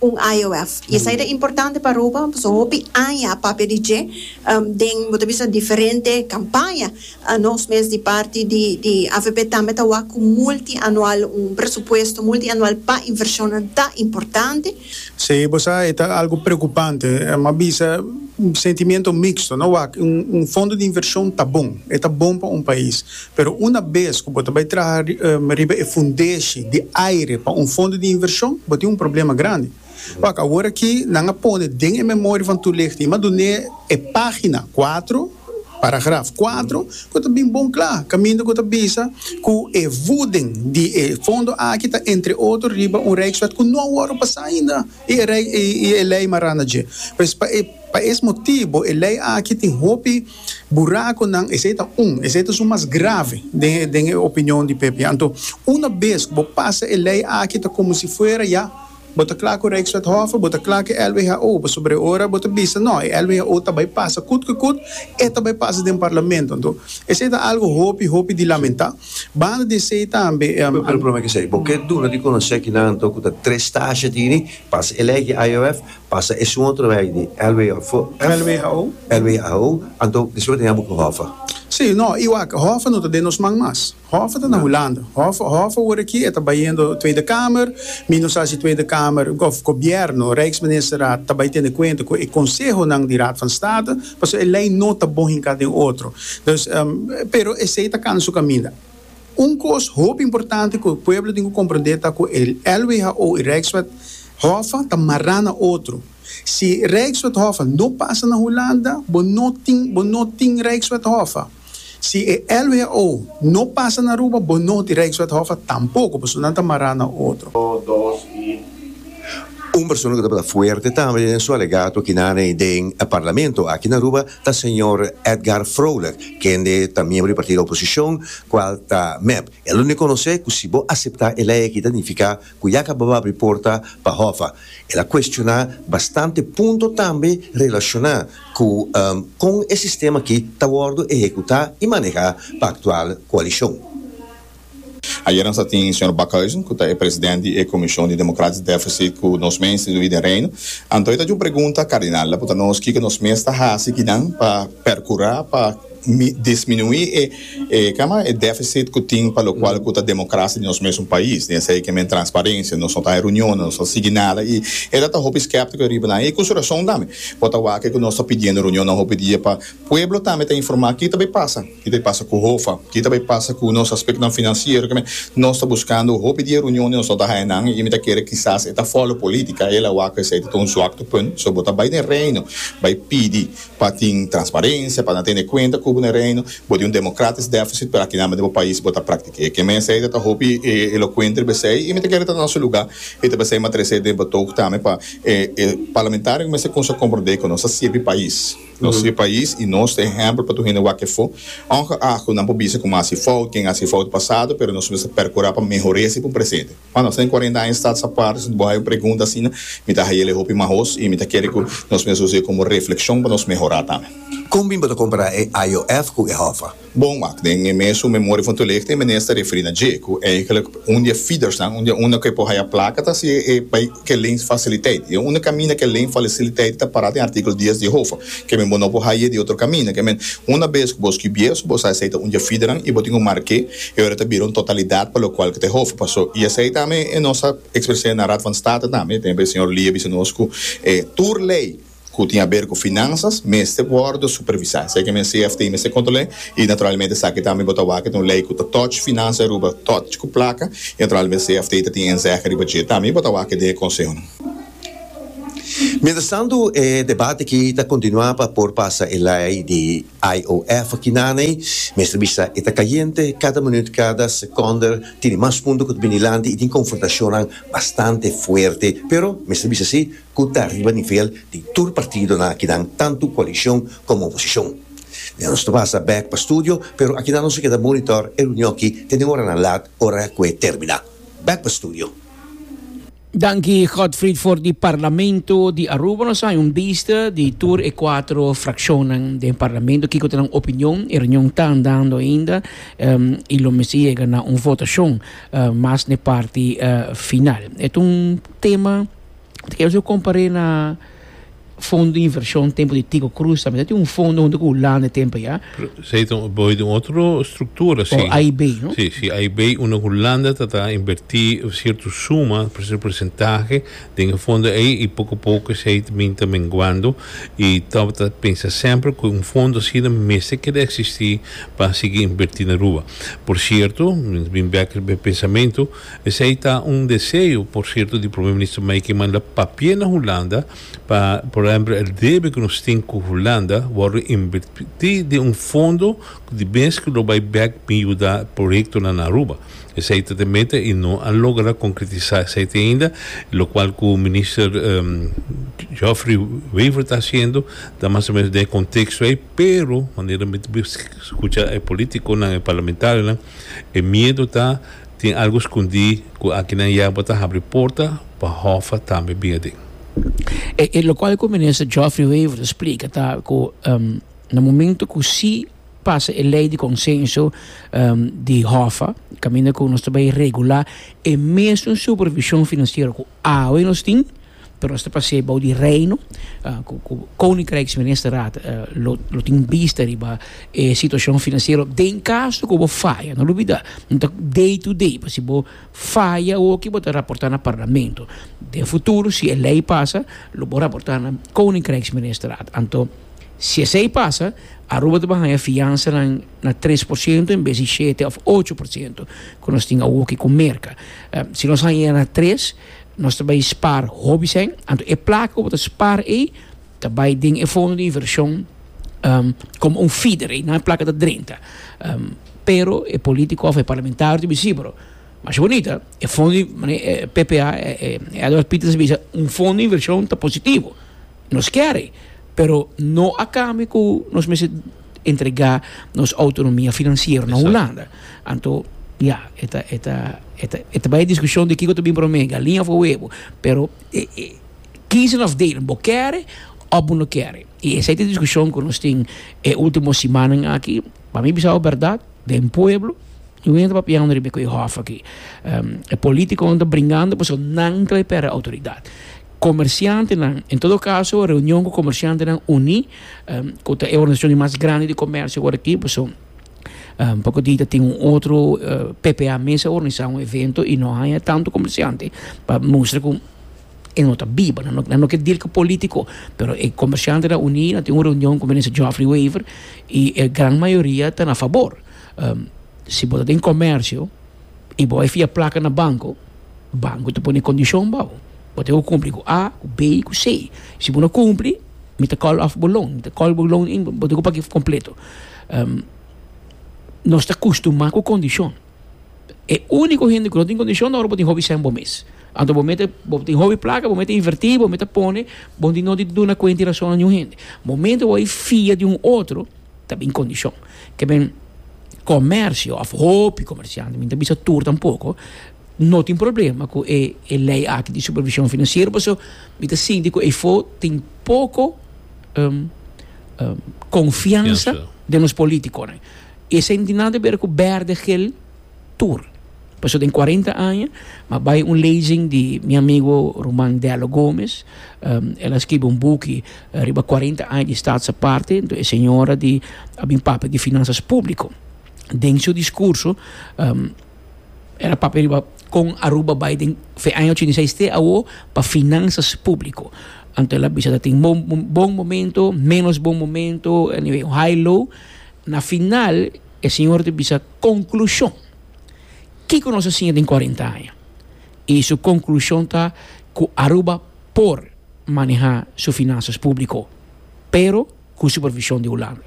un IOF y esai ta importante pa Aruba pasobra hopi aña a papia di dje den bo ta bisa diferente campaña nos mes di parti di di avp tambe ta wak cu multianual un presupuesto multianual pa inversionnan ta importante. Si bo sa e ta algo preocupante em a bisa sentimiento mixto no wak un fondo di inversion ta bon e ta bon pa un pais Pero una bes ku bo ta bai traha riba e fundeshi di aire pa un fondo di invershon, bo tin un problema grandi. Wak, awor aki nan a pone den e memoria van Toelichting i madun'é e página kuatro, paragraf kuatro, ku ta bin bon kla, kaminda ku ta bisa ku e vuden di e fondo aki ta entre otro riba un Rijkswet ku no a wòrdu pasá ainda i e lei marana dje. Pues, pa e pa es motibu e lei aki tin hopi. Buraconan, esey ta un, esey ta su mas grave den e opinion di pp. Anto, una bes cu bo pasa e ley aki ta como si fuera ya bo ta cla cu Rijkswethof, bo ta cla cu e LWHO, pasobra e ora bo ta bisa no, e LWHO ta bay pasa cut cu cut, e ta bay pasa den Parlamento. Anto, esey ta algo hopi, hopi di lamenta. Banda di esey tambe. Cu el problema cu esey? Bo ke duna di conoce kinan anto cu ta tres stashi tini pas e ley aki IOF? Pasa esun otro rei di lwho. Lwho. Lwho, anto despues tin abo ku Hoffa. Si, no, i wak, Hoffa no ta den nos man mas. Hoffa ta na Hulanda. Hoffa, Hoffa wor aki e ta bayendo Tweede Kamer. Mi no sa si Tweede Kamer, of Gobièrnu, Rijksministerraad, ta bai tene kuenta ku e konsehonan di Raad van State, pasobra e lei no ta bon hinká den otro. Dus, pero esei ta kana su kaminda. Un kos hopi importante ku e pueblo tin ku komprondé ta ku e LWHO i Rijkswet Hoffa ta mará na otro. Si Rijkswet Hoffa no pasa na Hulanda, bo no tin bo no tin Rijkswet Hoffa. Si e LWHO no pasa na Aruba, bo no tin Rijkswet Hoffa tampoko, pasobra nan ta mará na otro. Un persona ku tabata fuerte tambe den su alegato kinane den Parlamento aki na Aruba, ta señor Edgar Vrolijk, kende ta miembro di partido oposicion, cual ta mep. E lo ne conoce cu si bo acepta e ley aki ta nifica cu ya cababa abri porta pa Hoffa. El a cuestiona bastante punto tambe relaciona cu con e sistema aki ta wordo ehecuta y maneha pa actual coalicion. Ayera nos a tin señor Backhuizen cu ta e president di e Comision di Democratisch Deficit cu nos mes institui den Reino. Anto e ta djun pregunta, Cardinal ta punta nos kico nos mes ta haci kinan pa percura pa disminui e e cama e deficit cu tin pa locual cu ta democracia di nos mesun pais den esey ke men transparencia, nos no ta e reunionan, nos no ta sigui nada y e ta ta hopi skeptico riba nan y cu su rason tambe. Bo ta wak kico nos ta pidiendo reunionnan hopi dia pa pueblo tambe ta informa kitabe pasa. Ki ta bai pasa ku Hofa? Ki ta bai pasa ku nos aspektonan finansiero? Keme? Nos ta buskando hopi di e reunion di nos no ta haña nan, i mi ta kere kisas e ta fòlo politika. E la wak esei ta tin un zwakte punt. So, bo ta bai den Reino, bai pidi pa tin transparensia, pa nan tene kuenta ku bo den Reino. Bo tin un demokratis dèfisit, pero akinan den bo pais bo ta praktik'é. Keme esei ta ta hopi elokuente riba esei, i mi ta kere ta nan su lugá. E ta pasei mat'e resei den Batoog tambe, pa e parlamentario mester kumsa komprondé ku nos ta sirbi pais. Nos e pais y nos ta ehempel pa tur hende wak efo. Ongeacht cu nan por bisa cu mi a haci fout, ken a haci fout pasado, pero nos mester percura pa mehor'e si p'un presente. Cuando nos ta den cuarenta aña stads aparte, si bo hay un pregunta asina, mi ta haya'le hopi mahoz y mi ta kere cu nos mester usa e como reflexion pa nos mehora tambe. Con bin bo ta compara e IOF cu e Hoffa? Bon, wak, den e mes su Memoria for to Licht e Minister a referí na dje, ku eigenlik un di e feedersnan, un di e unda ku e por haya plaka ta si e bai ke lens fasiliteit. I e unda kaminda na ke lens fasiliteit ta pará den artíkulo dies di Hofa, ke men bo no por haye di otro kaminda. Ke men, una bes ku bo skibié esu, bo sa esei ta un di e feedernan i bo tin ku marké i ora ta bira un totalidat pa lokual ke ta e Hofa pasó. I esei tambe nos a ekspres'é na Raad van State tambe, tempo e señor Lee a bisa nos ku tur lei, ku tin aber ku finansas mester wòrdu supervisá. Esei ke men CFT mester kontrol'é i naturalmente esaki tambe bo ta wak e ta un lei ku ta tòch finansa di Aruba tòch ku plaka i naturalmente CFT ta tin enzège riba dje tambe i bo ta wak e den e konsehonan. Mientrastantu e debat aki ta kontinuá pa por pasa e lei di IOF aki nanei. Mester bisa e ta kayente kada minüt kada sekònder tin e mas punto ku ta bini lanti i tin konfrontashonnan bastante fuerte pero mester bisa si cu ta riba nivel di tur partidonan akinan tantu coalicion como oposicion. Mientras nos ta pasa bek pa studio, pero akinan nos a keda monitor e reunionki te den oranan lat ora cu e termina. Bek pa studio. Danki Godfried for di Parlamento di Aruba. Nos a haña un bista di tur e cuatro fraccionnan den Parlamento, kico ta nan opinion. E reunion ta andando ainda y lo mester yega na un votacion mas n'e parti final. E ta un tema. Te kere su komparé na fondo di invershon tempu di Tico Cruz tambe ta tin un fondo huntu ku Hulanda e tempu ya. Esei ta un boso di un otro struktura si. Oh, AIB, no? Si, si AIB unda Hulanda ta ta invertí sierto suma, sierto persentahe den e fondo ei i poko poko esei ta bin ta menguando i Top ta pensa semper ku un fondo asina mester keda eksistí pa a sigui invertí na Aruba. Por sierto, mi ta bin bèk e pensamentu. Esei ta un deseo, por sierto, di Prome Minister Mike ki manda papie na Hulanda pa, por ehempel, e debe ku nos tin ku Hulanda wòrdu invertí den un fondo di mes ku lo bai bèk bin yuda proyektonan na Aruba. Esei ta te meta i no a logra konkretisá esei te ainda, lokual ku Minister Geoffrey Wever ta hasiendo ta mas o menos den e konteksto ei, pero manera mi ta bin skucha e polítikonan, e parlamentarionan, e miedo ta, Tin algu skundí ku akinan ya bo ta habri porta pa Hoffa tambe bin aden. E lokual ku Minister Geoffrey Wever ta splika ta ku na momentu ku si pasa e lei di konsenso di Hoffa kaminda ku nos ta bai regulá e mesun supervishon finansiero ku awe nos tin, Pero nos ta pas'é bou di Reino ku ku Koninkrijksministerraad lo lo tin bista riba e situashon finansiero den kaso ku bo faya. No lubidá, no ta day to day, pa si bo faya hoki bo ta raportá na Parlamento. Den futuro si e lei pasa lo bo raportá na Koninkrijksministerraad. Anto si esei pasa Aruba ta ban haña fiansanan na tres por ciento en bes di shete òf ocho por ciento ku nos tin awoki ku Merka. Si nos haña na tres Nos ta bai spaar hopi sèn, anto e plaka ku bo ta spaar ei ta bai den e fondo di invershon komo un feeder, ei nan e plaka ta drenta. Pero e polítiko òf e parlamentario ta bisí, pero masha bonita e fondo di, ppa, Edward Pieterse ta bisa un fondo di invershon ta positivo. nos kere, pero no a kambio ku nos mester entregá nos outonomia finansiero na Hulanda. Anto, ya, e ta e ta e ta e ta bai e diskushon di kiko ta bin promé, galinha òf huevo, pero e e kiezen òf delen, bo kere òf bo no kere. I esei ta e diskushon ku nos tin e último simannan aki. Pa mi bisao bèrdat, den pueblo mi win a ta papiando riba ku e hòf aki, e polítikonan ta bringando pasobra nan ta bai pèrdè outoridat. Comerciantenan, en todo caso reunion cu comerciantenan uní cu ta e organisacion mas grandi di comercio awor aki pasobra poco día ta tin un otro ppa mes a organisa un evento y no haya tanto comerciante pa mustra cu e no ta biba nan no ke deal cu politico pero e comerciantenan uní a tin un reunion cu minister Geoffrey Wever y e gran mayoria ta na fabor si bo ta den comercio i bo a fia plaka na banko, banko ta pone kondishon pa bo. Bo ta ke ku kumpli ku A, ku B i ku C. Si bo no kumpli, mi ta kòl òf bo loan, mi ta kòl bo loan in, bo ta ke ku pag'é kompleto. Nos ta kustumá ku kondishon. E úniko hende ku no tin kondishon ta ora bo tin hopi sèn bo mes. Anto bo mete, bo tin hopi plaka, bo mete invertí, bo mete pone, bo no tin duna kuenta i rason na ningún hende. Momento bo a fia di un otro. ta bin kondishon ke men komersio òf hopi komersiante mi ta bisa tur tampoko no tin problema ku e e lei aki di supervishon finansiero paso mi ta sinti ku efo tin poko konfiansa den nos politikonan i esei no tin nada te bera ku bèrdè gel. tur. Paso den cuarenta aña m'a bay un lezing di mi amigo ruman Dello Gomez. El a skibi un buki riba cuarenta aña di Staats Aparte. E señora di a bin papia di Finanzas Publico. Den su discurso el a papia riba con Aruba bay den fe aña ochenta i seis te awo pa Finanzas Publico. Anto el a bisa ta tin bon momento, menos bon momento, anyway high low. Na final. E siñor ta bisa konklushon. Kiko nos a siña den kuarenta aña? I su konklushon ta ku Aruba por manehá su finansas públiko, pero ku supervishon di Hulanda.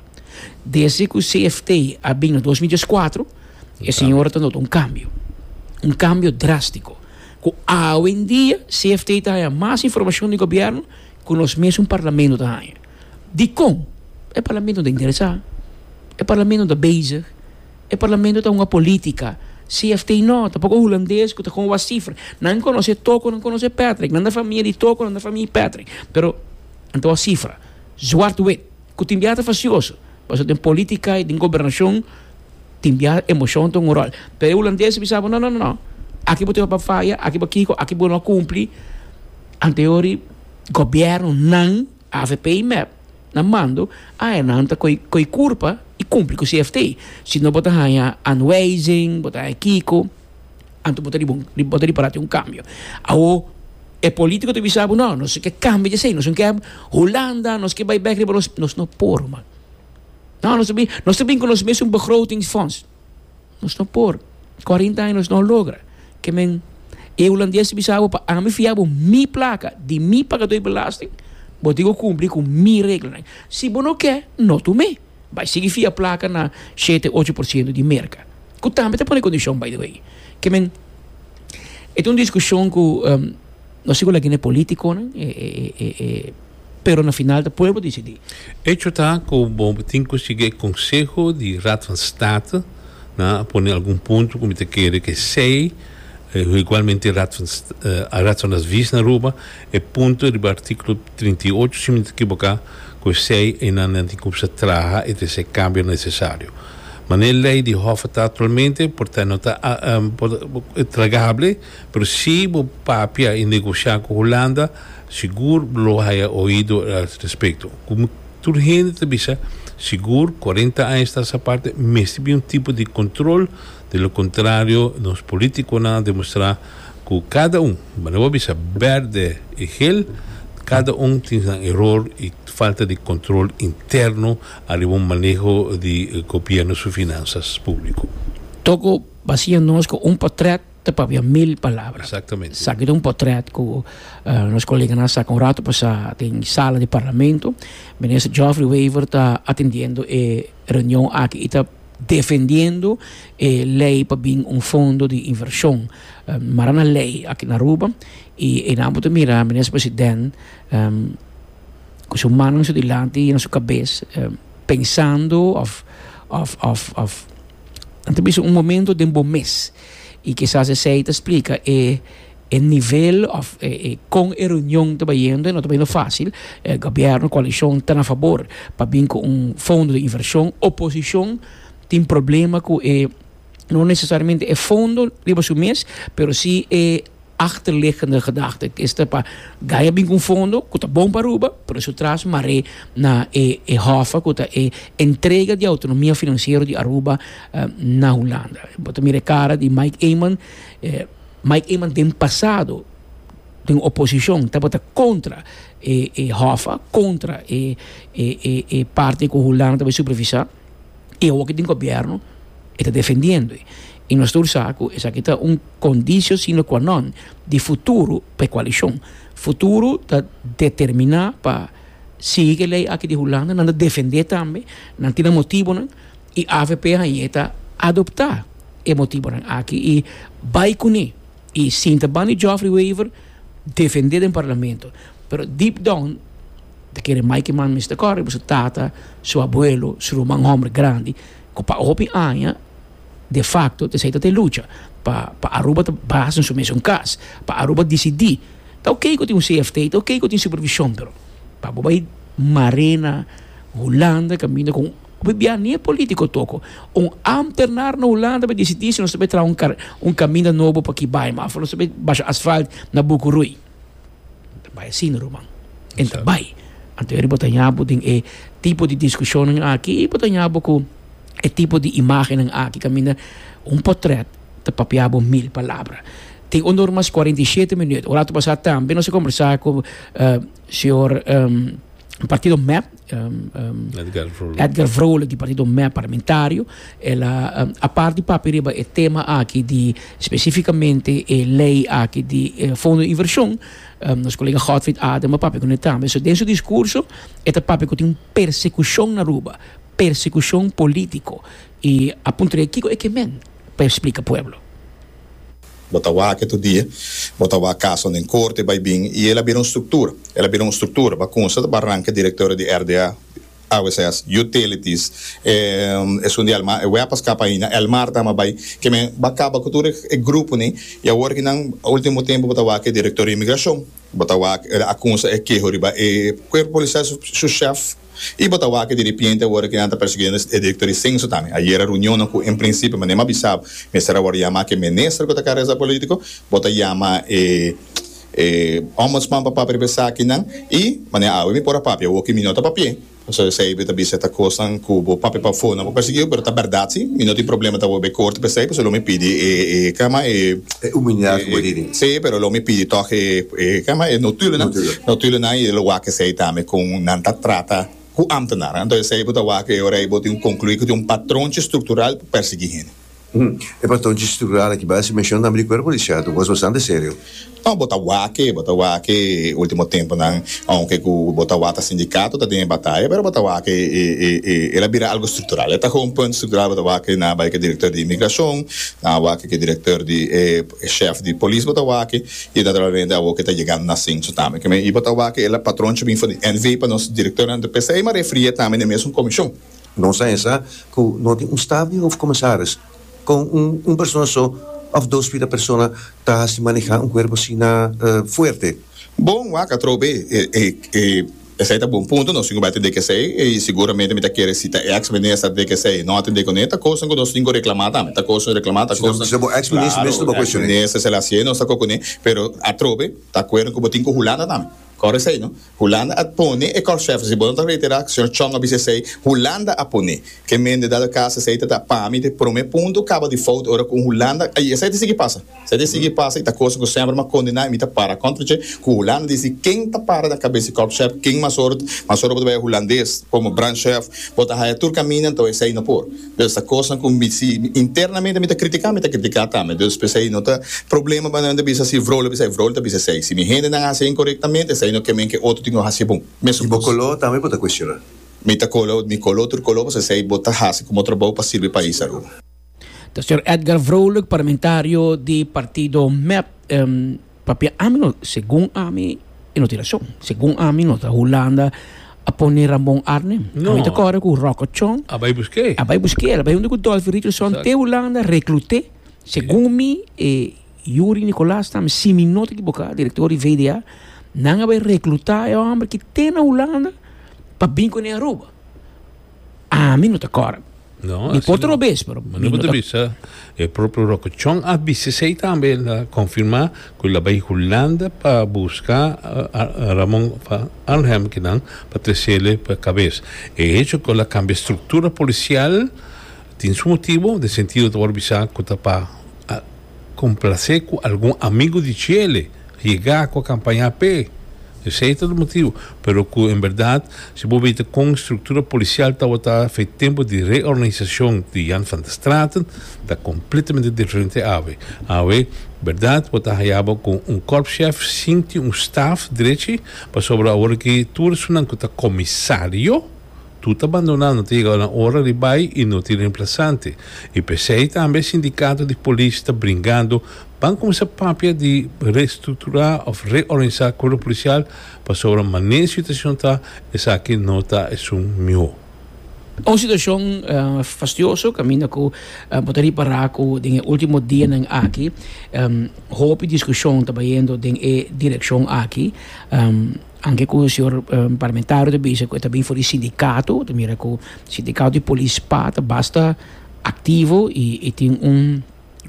Desde ku CFT a bin na dos mil dies kuatro, e siñor ta nota un kambio, un kambio drástiko, ku awendia CFT ta haña mas informashon di gobièrnu ku nos mesun parlamento ta haña. Dikon e parlamento ta interesá? E parlamento ta bezig? E parlamento ta hunga polítika? CFT no, tampoco Hulandes cu ta con wak cifra. Nan conoce Toko, nan conoce Patrick. Nan ta famia di Toko, nan ta famia di Patrick. Pero nan ta wak cifra, zwart wit, cu tin biaha ta facioso. Pasobra den política y den gobernacion tin biaha emocion ta hunga un rol. Pero e Hulandes a bisa bo, no, no, no, aki bo tin bai faya, aki bo kico, aki bo no a cumpli. Antes dor e gobiernonan. Avp y mep na mando a e nan ta co e curpa y cumpli cu CFT. Si no bo ta hanja anwijzing, bo ta hanja kico, anto bo ta riba un bo ta ripara tin un cambio. Awo e politico ta bisa bo no nos no ke cambia desey nos no ke Hulanda nos ke bay bek riba nos nos no por man. No nos ta bin nos ta bin cu nos mes un begrotingsfonds. Nos no por. Cuarinta aña nos no logra. Ke men e hulandes ta bisa bo, pa ami fia bo mi placa di mi pagador di belasting, bo tin cu cumpli cu mi reglanan. Si bo no ke, no tu me. Bay sigui fia placa na shete, ocho por ciento di Merca. Cu tambe ta pone condicion, by the way. Ke men, e ta un discusion cu, no si cu lagina e politiconan, e, e, e, e. pero na final ta pueblo dicidi. Hecho ta cu bo tin cu sigui e conseho di Raad van State na a pone algun punto cu mi ta kere cu esey, cu igualmente Raad van Raad van Advies na Aruba, e punto riba articulo trinta i ocho si mi no ta ekiboka, cu esey eynan nan tin cu bisa a traha y ta hasi e cambio necesario. Mana e ley di Hof a ta actualmente por ta no ta tragable, pero si bo papia y negocia cu Hulanda, Sigur lo haya oido el al respecto. Como tur hende ta bisa, sigur cuarenta aña sta sa parte mester bin un tipo di control, de lo contrario nos politiconan a demostra cu cada un, bo no a bisa berde y geel, cada un tin nan eror y falta di control interno ariba un maneho di Gobierno su finanzas publico. Toco basia nos cu un potret Ta pabia mil palabra. Exactamente. Sa aki ta un potret cu nos coleganan sa cu un rato pasa den e sala di Parlamento. Minister Geoffrey Wever ta atendiendo e reunion aki y ta defendiendo e ley pa bin un fondo di inversion. Mara na ley aki na Aruba y enan bo ta mira Minister President cu su mannan su dilanti y na su cabes pensando of, of, of, of, nan ta bisa un momento den bo mes. Y kisas esey ta splica e e nivel of e e con e reunion ta bayendo y no ta bayendo facil. E gobierno, coalicion ta na fabor pa bin cu un fondo di inversion. Oposicion tin problema cu e no necesariamente e fondo riba su mes pero si e. Achterliggende gedachte es ta pa Gaia bin ku un fondo ku ta bon pa Aruba, pero su tras mar'é na e hòffa ku ta e entrega di outonomia finansiero di Aruba na Hulanda. Bo ta mira e kara di Mike Eman, Mike Eman den pasado den oposishon tabata kontra e hòffa, kontra e parte ku Hulanda ta bin supervisá. y awo cu tin gobierno e ta defendiendo e. Y nos ta ursa cu esaki ta un condicio sine qua non di futuro pa e coalicion. Futuro ta determina pa si e ley aki di Hulanda nan ta defende tambe, nan tin nan motibonan y avp aña ta adopta e motibonan aki y bay cune y sinta ban di Geoffrey Wever defende den Parlamento pero deep down Ta kere mai ki mami mester kore riba su tata, su abuelo, su ruman homber grandi ku pa hopi aña de facto ta seta te lucha pa pa Aruba ta basa den su mesun kas, pa Aruba disidi. Ta oke ku tin un CFT, ta oke ku tin supervishon pero pa bo bai marena, Hulanda kaminda ku hopi bia ni e politiko a toko, un ámternar na Hulanda bai disidi si nos ta bai traha un kaminda nobo pa Kibaima of nos ta bai basha asfalt na Buku Rui. Ta bai asin ruman. En ta bai. Anto yari bo ta haña bo den e tipo di diskushonnan aki i bo ta haña bo ku e tipo di imágennan aki kaminda un potrèt ta papia bo mil palabra. Tin un nor mas kuarenta i shete minüt. Ora tu pasá tambe nos a kombersá ku señor partido MEP, um, um, Edgar Vrolijk, Edgar Vrolijk di partido MEP parlamentario, ela um, aparte di papi riba e tema aqui di especificamente e lei aqui di eh, fondo de inversión, um, nos colega Godfried Adema papi con tambe. So, den su discurso, eta papi con un persecución na Aruba, persecución político, y apuntre kiko e que men, para explica pueblo. Bo ta wak e todie, bo ta wak kaso den korte bai bin i el a bira un struktura, el a bira un struktura. Ba kunsa ta bar ranke direktorio di RDA, AWSS, Utilities, e esun di Elmar, e wea pa skapa ainda, Elmar ta ama bai, ke men ba kaba ku tur e gruponan i awor ki nan ultimo tempu bo ta wak e direktorio di Imigrashon, bo ta wak a kunsa e keho riba e kuerpo polisial su shèf. I bo ta wak di ripiente awor ke nan ta perseguiendo e directo di censo tambe. Ayera reunionnan ku en principio manera bo a bisa bo mester awor yama ke minister ku ta careza politico, bo ta yama e e ombudsman pa papia riba esakinan i manera awe mi por a papia awor ke mi no ta papia pasobra esei bo ta bisa e ta kosnan ku bo papia pa afó nan por perseguiu pero ta berdad si mi no tin problema ta awor be corte pa esei pasobra lo mi pidi e e e kama e e humilidad ku bo hini si pero lo mi pidi tog e E kama e notulennan, notulennan y e lo wak esey tambe con nan ta trata cu ambtenaran. Enton esey bo ta wak e ora y bo tin un conclui cu tin un patronchi structural pa persegui hende. E patronchi structural aki bay mension tambe di cuerpo policial tu cos bastante serio. No, bo ta wak e, bo ta wak e ultimo temponan aunke cu bo ta wak ta sindicato ta den e bataya pero bo ta wak e el a bira algo structural. E ta gewoon punt structural bo ta wak na bay cu e director di inmigracion, na wak cu e director di e. E shèf di polis bo ta wak-e i e ta trabá bende awor ku e ta yegando na Sintsu tambe. Ke men i bo ta wak-e, el a patronchi bin for di NV pa nos direktornan di p'esei i m'a refri'é tambe n'e mesun komishon. Nos a hesá ku no tin un staf di hofkomisaris kon un persona so òf dos pida persona ta hasi manehá un kuerpo asina fuerte. Bon, wak atrobe e. Esei ta bon punto, nos tin ku bai tende ku esei i seguramente mi ta kere si ta ex minister tende ku esei no a tende ku ne, ta koson ku nos tin ku reklamá tambe, ta koson reklamá, ta koson, si ta bon ex minister mes no ba kueshoné. Claro, ex minister Selassie nos ta kokoné, pero atrobe ta acuerdo ku bo tin ku Hulanda tambe, kòrda esei no, Hulanda a pone e kòrshèf, si bo no ta reiterá, señor Chong a bisa esei, Hulanda a poné, ke mende dado caso esei ta ta pa mi te promé punto kaba di fout ora ku Hulanda, i esei ta sigui pasa. Sa dje sigui pasa i ta kos ku semper m'a kondiná i mi ta para kontra dje, ku Hulanda di si ken ta para na kabes di kòpshèp ken mas ora mas ora bo ta bai e hulandes komo brandchèf bo ta haya tur kaminda anto esei no por dus ta kosnan ku mi si internamente mi ta kritiká mi ta kritiká tambe dus p'esei no ta problema pa nan ta bisa si Vrole bisa esei Vrole ta bisa esei si mi hendenan hasi e inkorektamente esei no ke men ke otro tin lo hasi bon mesun I bo koló tambe bo ta kuestioná? Mi ta koló mi koló tur koló pasobra esei bo ta hasi komo trabou pa sirbi pais Aruba. Ta señor Edgar Vrolijk, parlamentario di partido mep. Papia ami no, segun ami e no tin rason. Segun ami no ta Hulanda a pone Ramon Arnem. No. Ami ta kore ku Rocco Chong. A bai busk'é. A bai busk'é, a bai hunde ku Dolphy Richardson Exact. te Hulanda, reklut'é. Segun mi e Yuri Nicolaas tambe, si mi no ta ekiboká, direktor di VDA, nan a bai reklutá e hòmber ki te na Hulanda pa bin kuné Aruba. Ami no ta kòrda. No, Mi por trobe es, pero mi no ta bisa. E propio Rokochon a bisa esei tambe, el a konfirmá ku el a bai Hulanda pa buska Ramon van Arnhem kinan pa tresele pa kabes. E hecho ku el a kambia struktura polisial tin su motibu, den sentido ta wòrdu bisa ku ta pa Complacé cu algun amigo di Chele a yega cu a campaña p'e. Esey ta e motivo. Pero cu en berdad, si bo mira con e structura policial tawata fa e tempo di reorganisacion di Jan van der Straten, ta completamente diferente awe. Awe, berdad, bo ta haya bo cu un korpschef sin tin un staf drechi, pasobra aworaki tur esunnan cu ta comisario, Tu ta bandona, no ta yega na ora di bai y no tin reemplasante. Y pesey tambe sindicato di polis ta bringando ban cuminsa papia di reestructura of reorganisa cuerpo policial pasobra mané situacion ta esaki no ta esun miho. Un situacion fastioso caminda cu bo ta ripara cu den e ultimo dianan aki hopi discusion ta bayendo den e direccion aki. Anke ku señor parlamentario ta bisa ku e ta bin for di sindikato, ta mira ku sindikato di polis pa ta basta aktivo i e tin un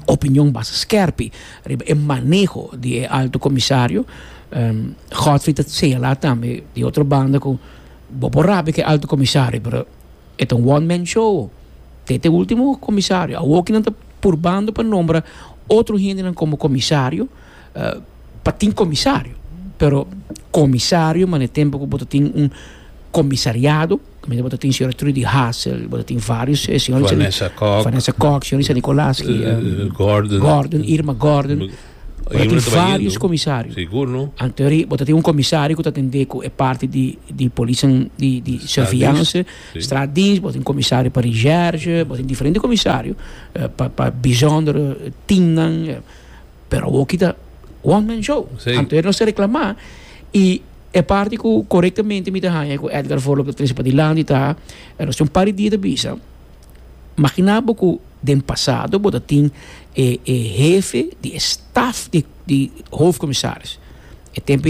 opinion basta skèrpi riba e maneho di e alto komisario. Godfrey ta señalá tambe di otro banda ku bo por rabia ku e alto komisario pero e ta un one man show te te último komisario. Awokinan ta purbando pa nombra otro hendenan komo komisario. pa tin comisario pero comisario mane tempo cu bo ta tin un comisariado caminda bo ta tin señora Trudy Hassel bo ta tin varios eh, señora Lisa Vanessa Kok Vanessa Kok señora Lisa Nicolaski eh, eh, Gordon Gordon Irma Gordon bo ta tin varios comisario sigur no antori bo ta tin un comisario cu ta tende cu e parti di di policia di di surveillance straatdienst bo ta tin comisario pa recherche bo ta tin diferente comisario pa pa bijzonder teamnan. pero awor ki ta one man show sí. anto e nos ta reclama y e parti cu correctamente mi ta haña cu Edgar Volop ta trece pa dilanti ta e nos tin un par di dia ta bisa magina bo cu den pasado bo ta tin e e hefe di e staf di di hoofdcommissaris e tempo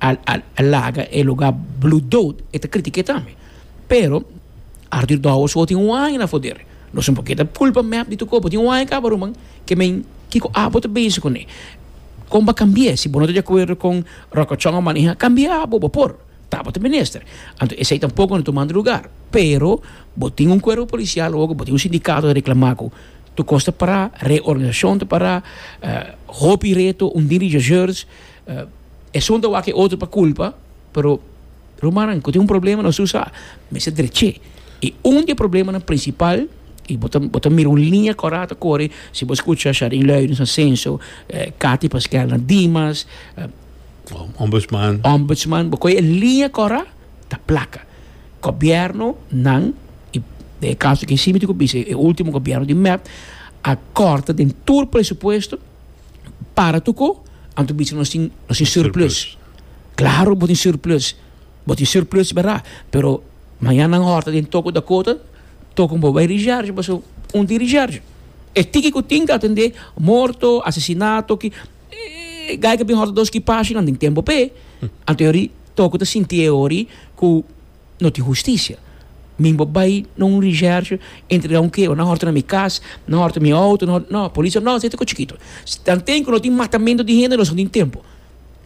a a laga e lugar blue dood e ta critica tambe pero Arthur Douwes ho tin un aña na poder lo siempre por keda culpa mep di tocobo tin un aña caba ruman ke men kico abo ta bezi cone con bo a cambia si bo no ta di acuerdo con rokochon a maneha cambia abo bo por tabo ta minister anto esey tampoco no ta manda lugar pero bo tin un cuerpo policial oca bo tin un sindicato ta reclama cu tu cos ta para reorganisacion ta para hopi reto un dirigiador. Esun ta wak e otro pa culpa, pero rumannan cu tin un problema nos usa mester dreche. Y un di e problemanan principal, y bo ta bo ta mira un linea cora ta core, si bo scucha Charin Luijens na Censo, Cathy Pasquel na Dimas, Ombudsman, bo coge e linea cora ta placa. Gobiernonan, y den e caso aki simiti cu bisa e ultimo gobierno di mep a corta den tur presupuesto. para tuko anto bichi nos tin nos tin surplus claro bo tin surplus bo tin surplus verdad pero mañana nan horta den toko ta kota toko bo bai recharge paso un tin recharge e tiki ku tin ta atende morto asesinato ki e gai ku a bin horta dos ki pashi nan tin tempo p'e anto yori toko ta sinti e ori ku no tin husticia. Mi bo bay na un recherche entrega un keba nan horta na mi cas, nan horta mi auto, nan horta, no, policia no aceita cosa chikito. Tan ten cu no tin matamento di hende nos no tin tempo.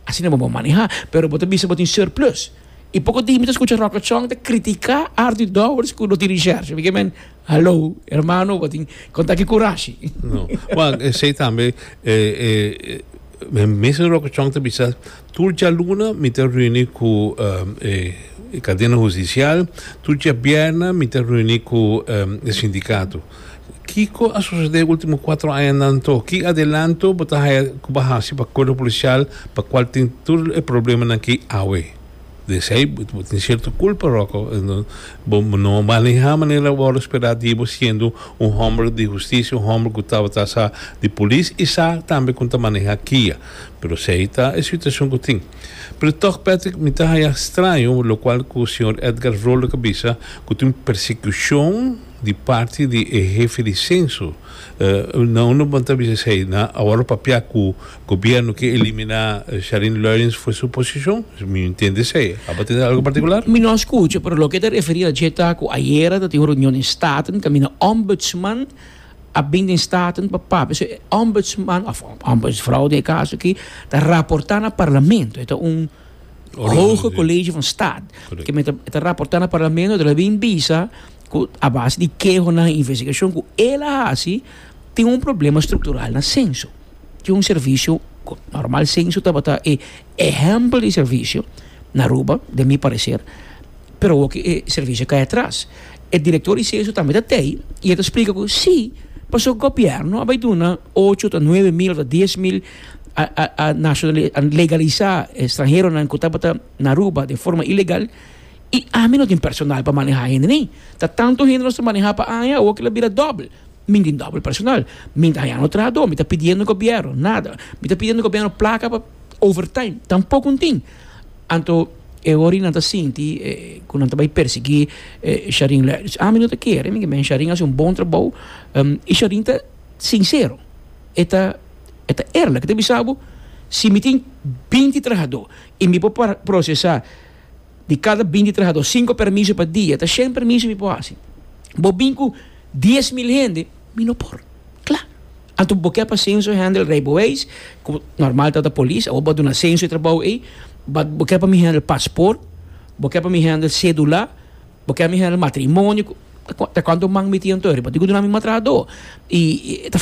Asina bo bo maneha, pero bo ta bisa bo tin surplus. Y poco tin mi ta scucha Rock Lachon ta critica Ardy Dowers cu no tin recherche. Mi keda, Hallo, hermano, bo tin con taki curashi. No, ma esey tambe e, e, e. Mister Rocachoong ta bisa, Tur djaluna mi ta reuni cu e cadena husticial, tur djabierna mi ta reuni cu e sindicato. Kico a sucede ultimo cuatro añanan to? Ki adelanto bo ta haya cu bo haci pa Cuerpo Policial pa cual tin tur e problemanan aki awe? Esei bo tin cierto culpa Rocco bo no a maneha manera bo a respeta Dios bo siendo un homber di justicia un homber cu tabata sa di polis y sa tambe con ta maneha kia pero esei ta e situacion cu tin pero toch Patrick mi ta haya straño locual cu señor Edgar Vrolijk a bisa cu tin un persecucion di parti di e hefe di censo nan no bo ta bisa esei nan awor papia cu. Gobierno ke elimina Charin Luijens for su posishon? Mi no entiende esei. Aba tende algu partikular? Mi no skucha, pero loke ta referí aljé ta ku ayera ta tin un reunion den Staten kaminda Ombudsman a bin den Staten pa papia. So e Ombudsman òf Ombudsfrou den e kaso aki ta raportá na Parlamento. E ta un Hoge College van Staat. Kimin ta e ta raportá na Parlamento ta bin bisa ku a base di kehonan i investigashon ku el a hasi tin un problema struktural na senso. tin un servisio cu normal censo tabata e ehempel di servisio na Aruba, den mi parecer, pero awor cu e servisio cay atras. E director di censo tambe ta tey y e ta splica cu si, pasobra gobierno a bay duna ocho ta nuebe mil of ta dies mil a legaliza e stranheronan cu tabata na Aruba den forma ilegal y ami no tin personal pa maneha hende ni. Ta tanto hende nos ta maneha pa aña, awor cu lo bira doble. Mi tin dobel personal. Mi ta hañando trahadó. Mi ta pidiendo gobièrnu nada. Mi ta pidiendo gobièrnu plaka pa overtime. Tampoko N tin. Anto e hora ei nan ta sinti ku nan ta bai persiguí Sharin Lèris. Ami no ta kere, mi meen Sharin a hasi un bon trabou i Sharin ta sinsero, e ta eerlek. E ta bisa bo, si mi tin binti trahadó i mi por prosesá. Di kada binti trahadó, sinku permiso pa dia, ta shen permiso mi por hasi. Bo bin ku dies mil hende, mi no por. Kla. Anto bo ke pa senso hendel rei bo weis, ku normal ta ta polis, awor bo a duna senso e trabou ei, ba bo ke pa mi hendel pasport, bo ke pa mi hendel sedula, bo ke pa mi hendel matrimonio, ta kuantu man mi tin anto ei riba? Di ku duna mi ma trahadó. I ta.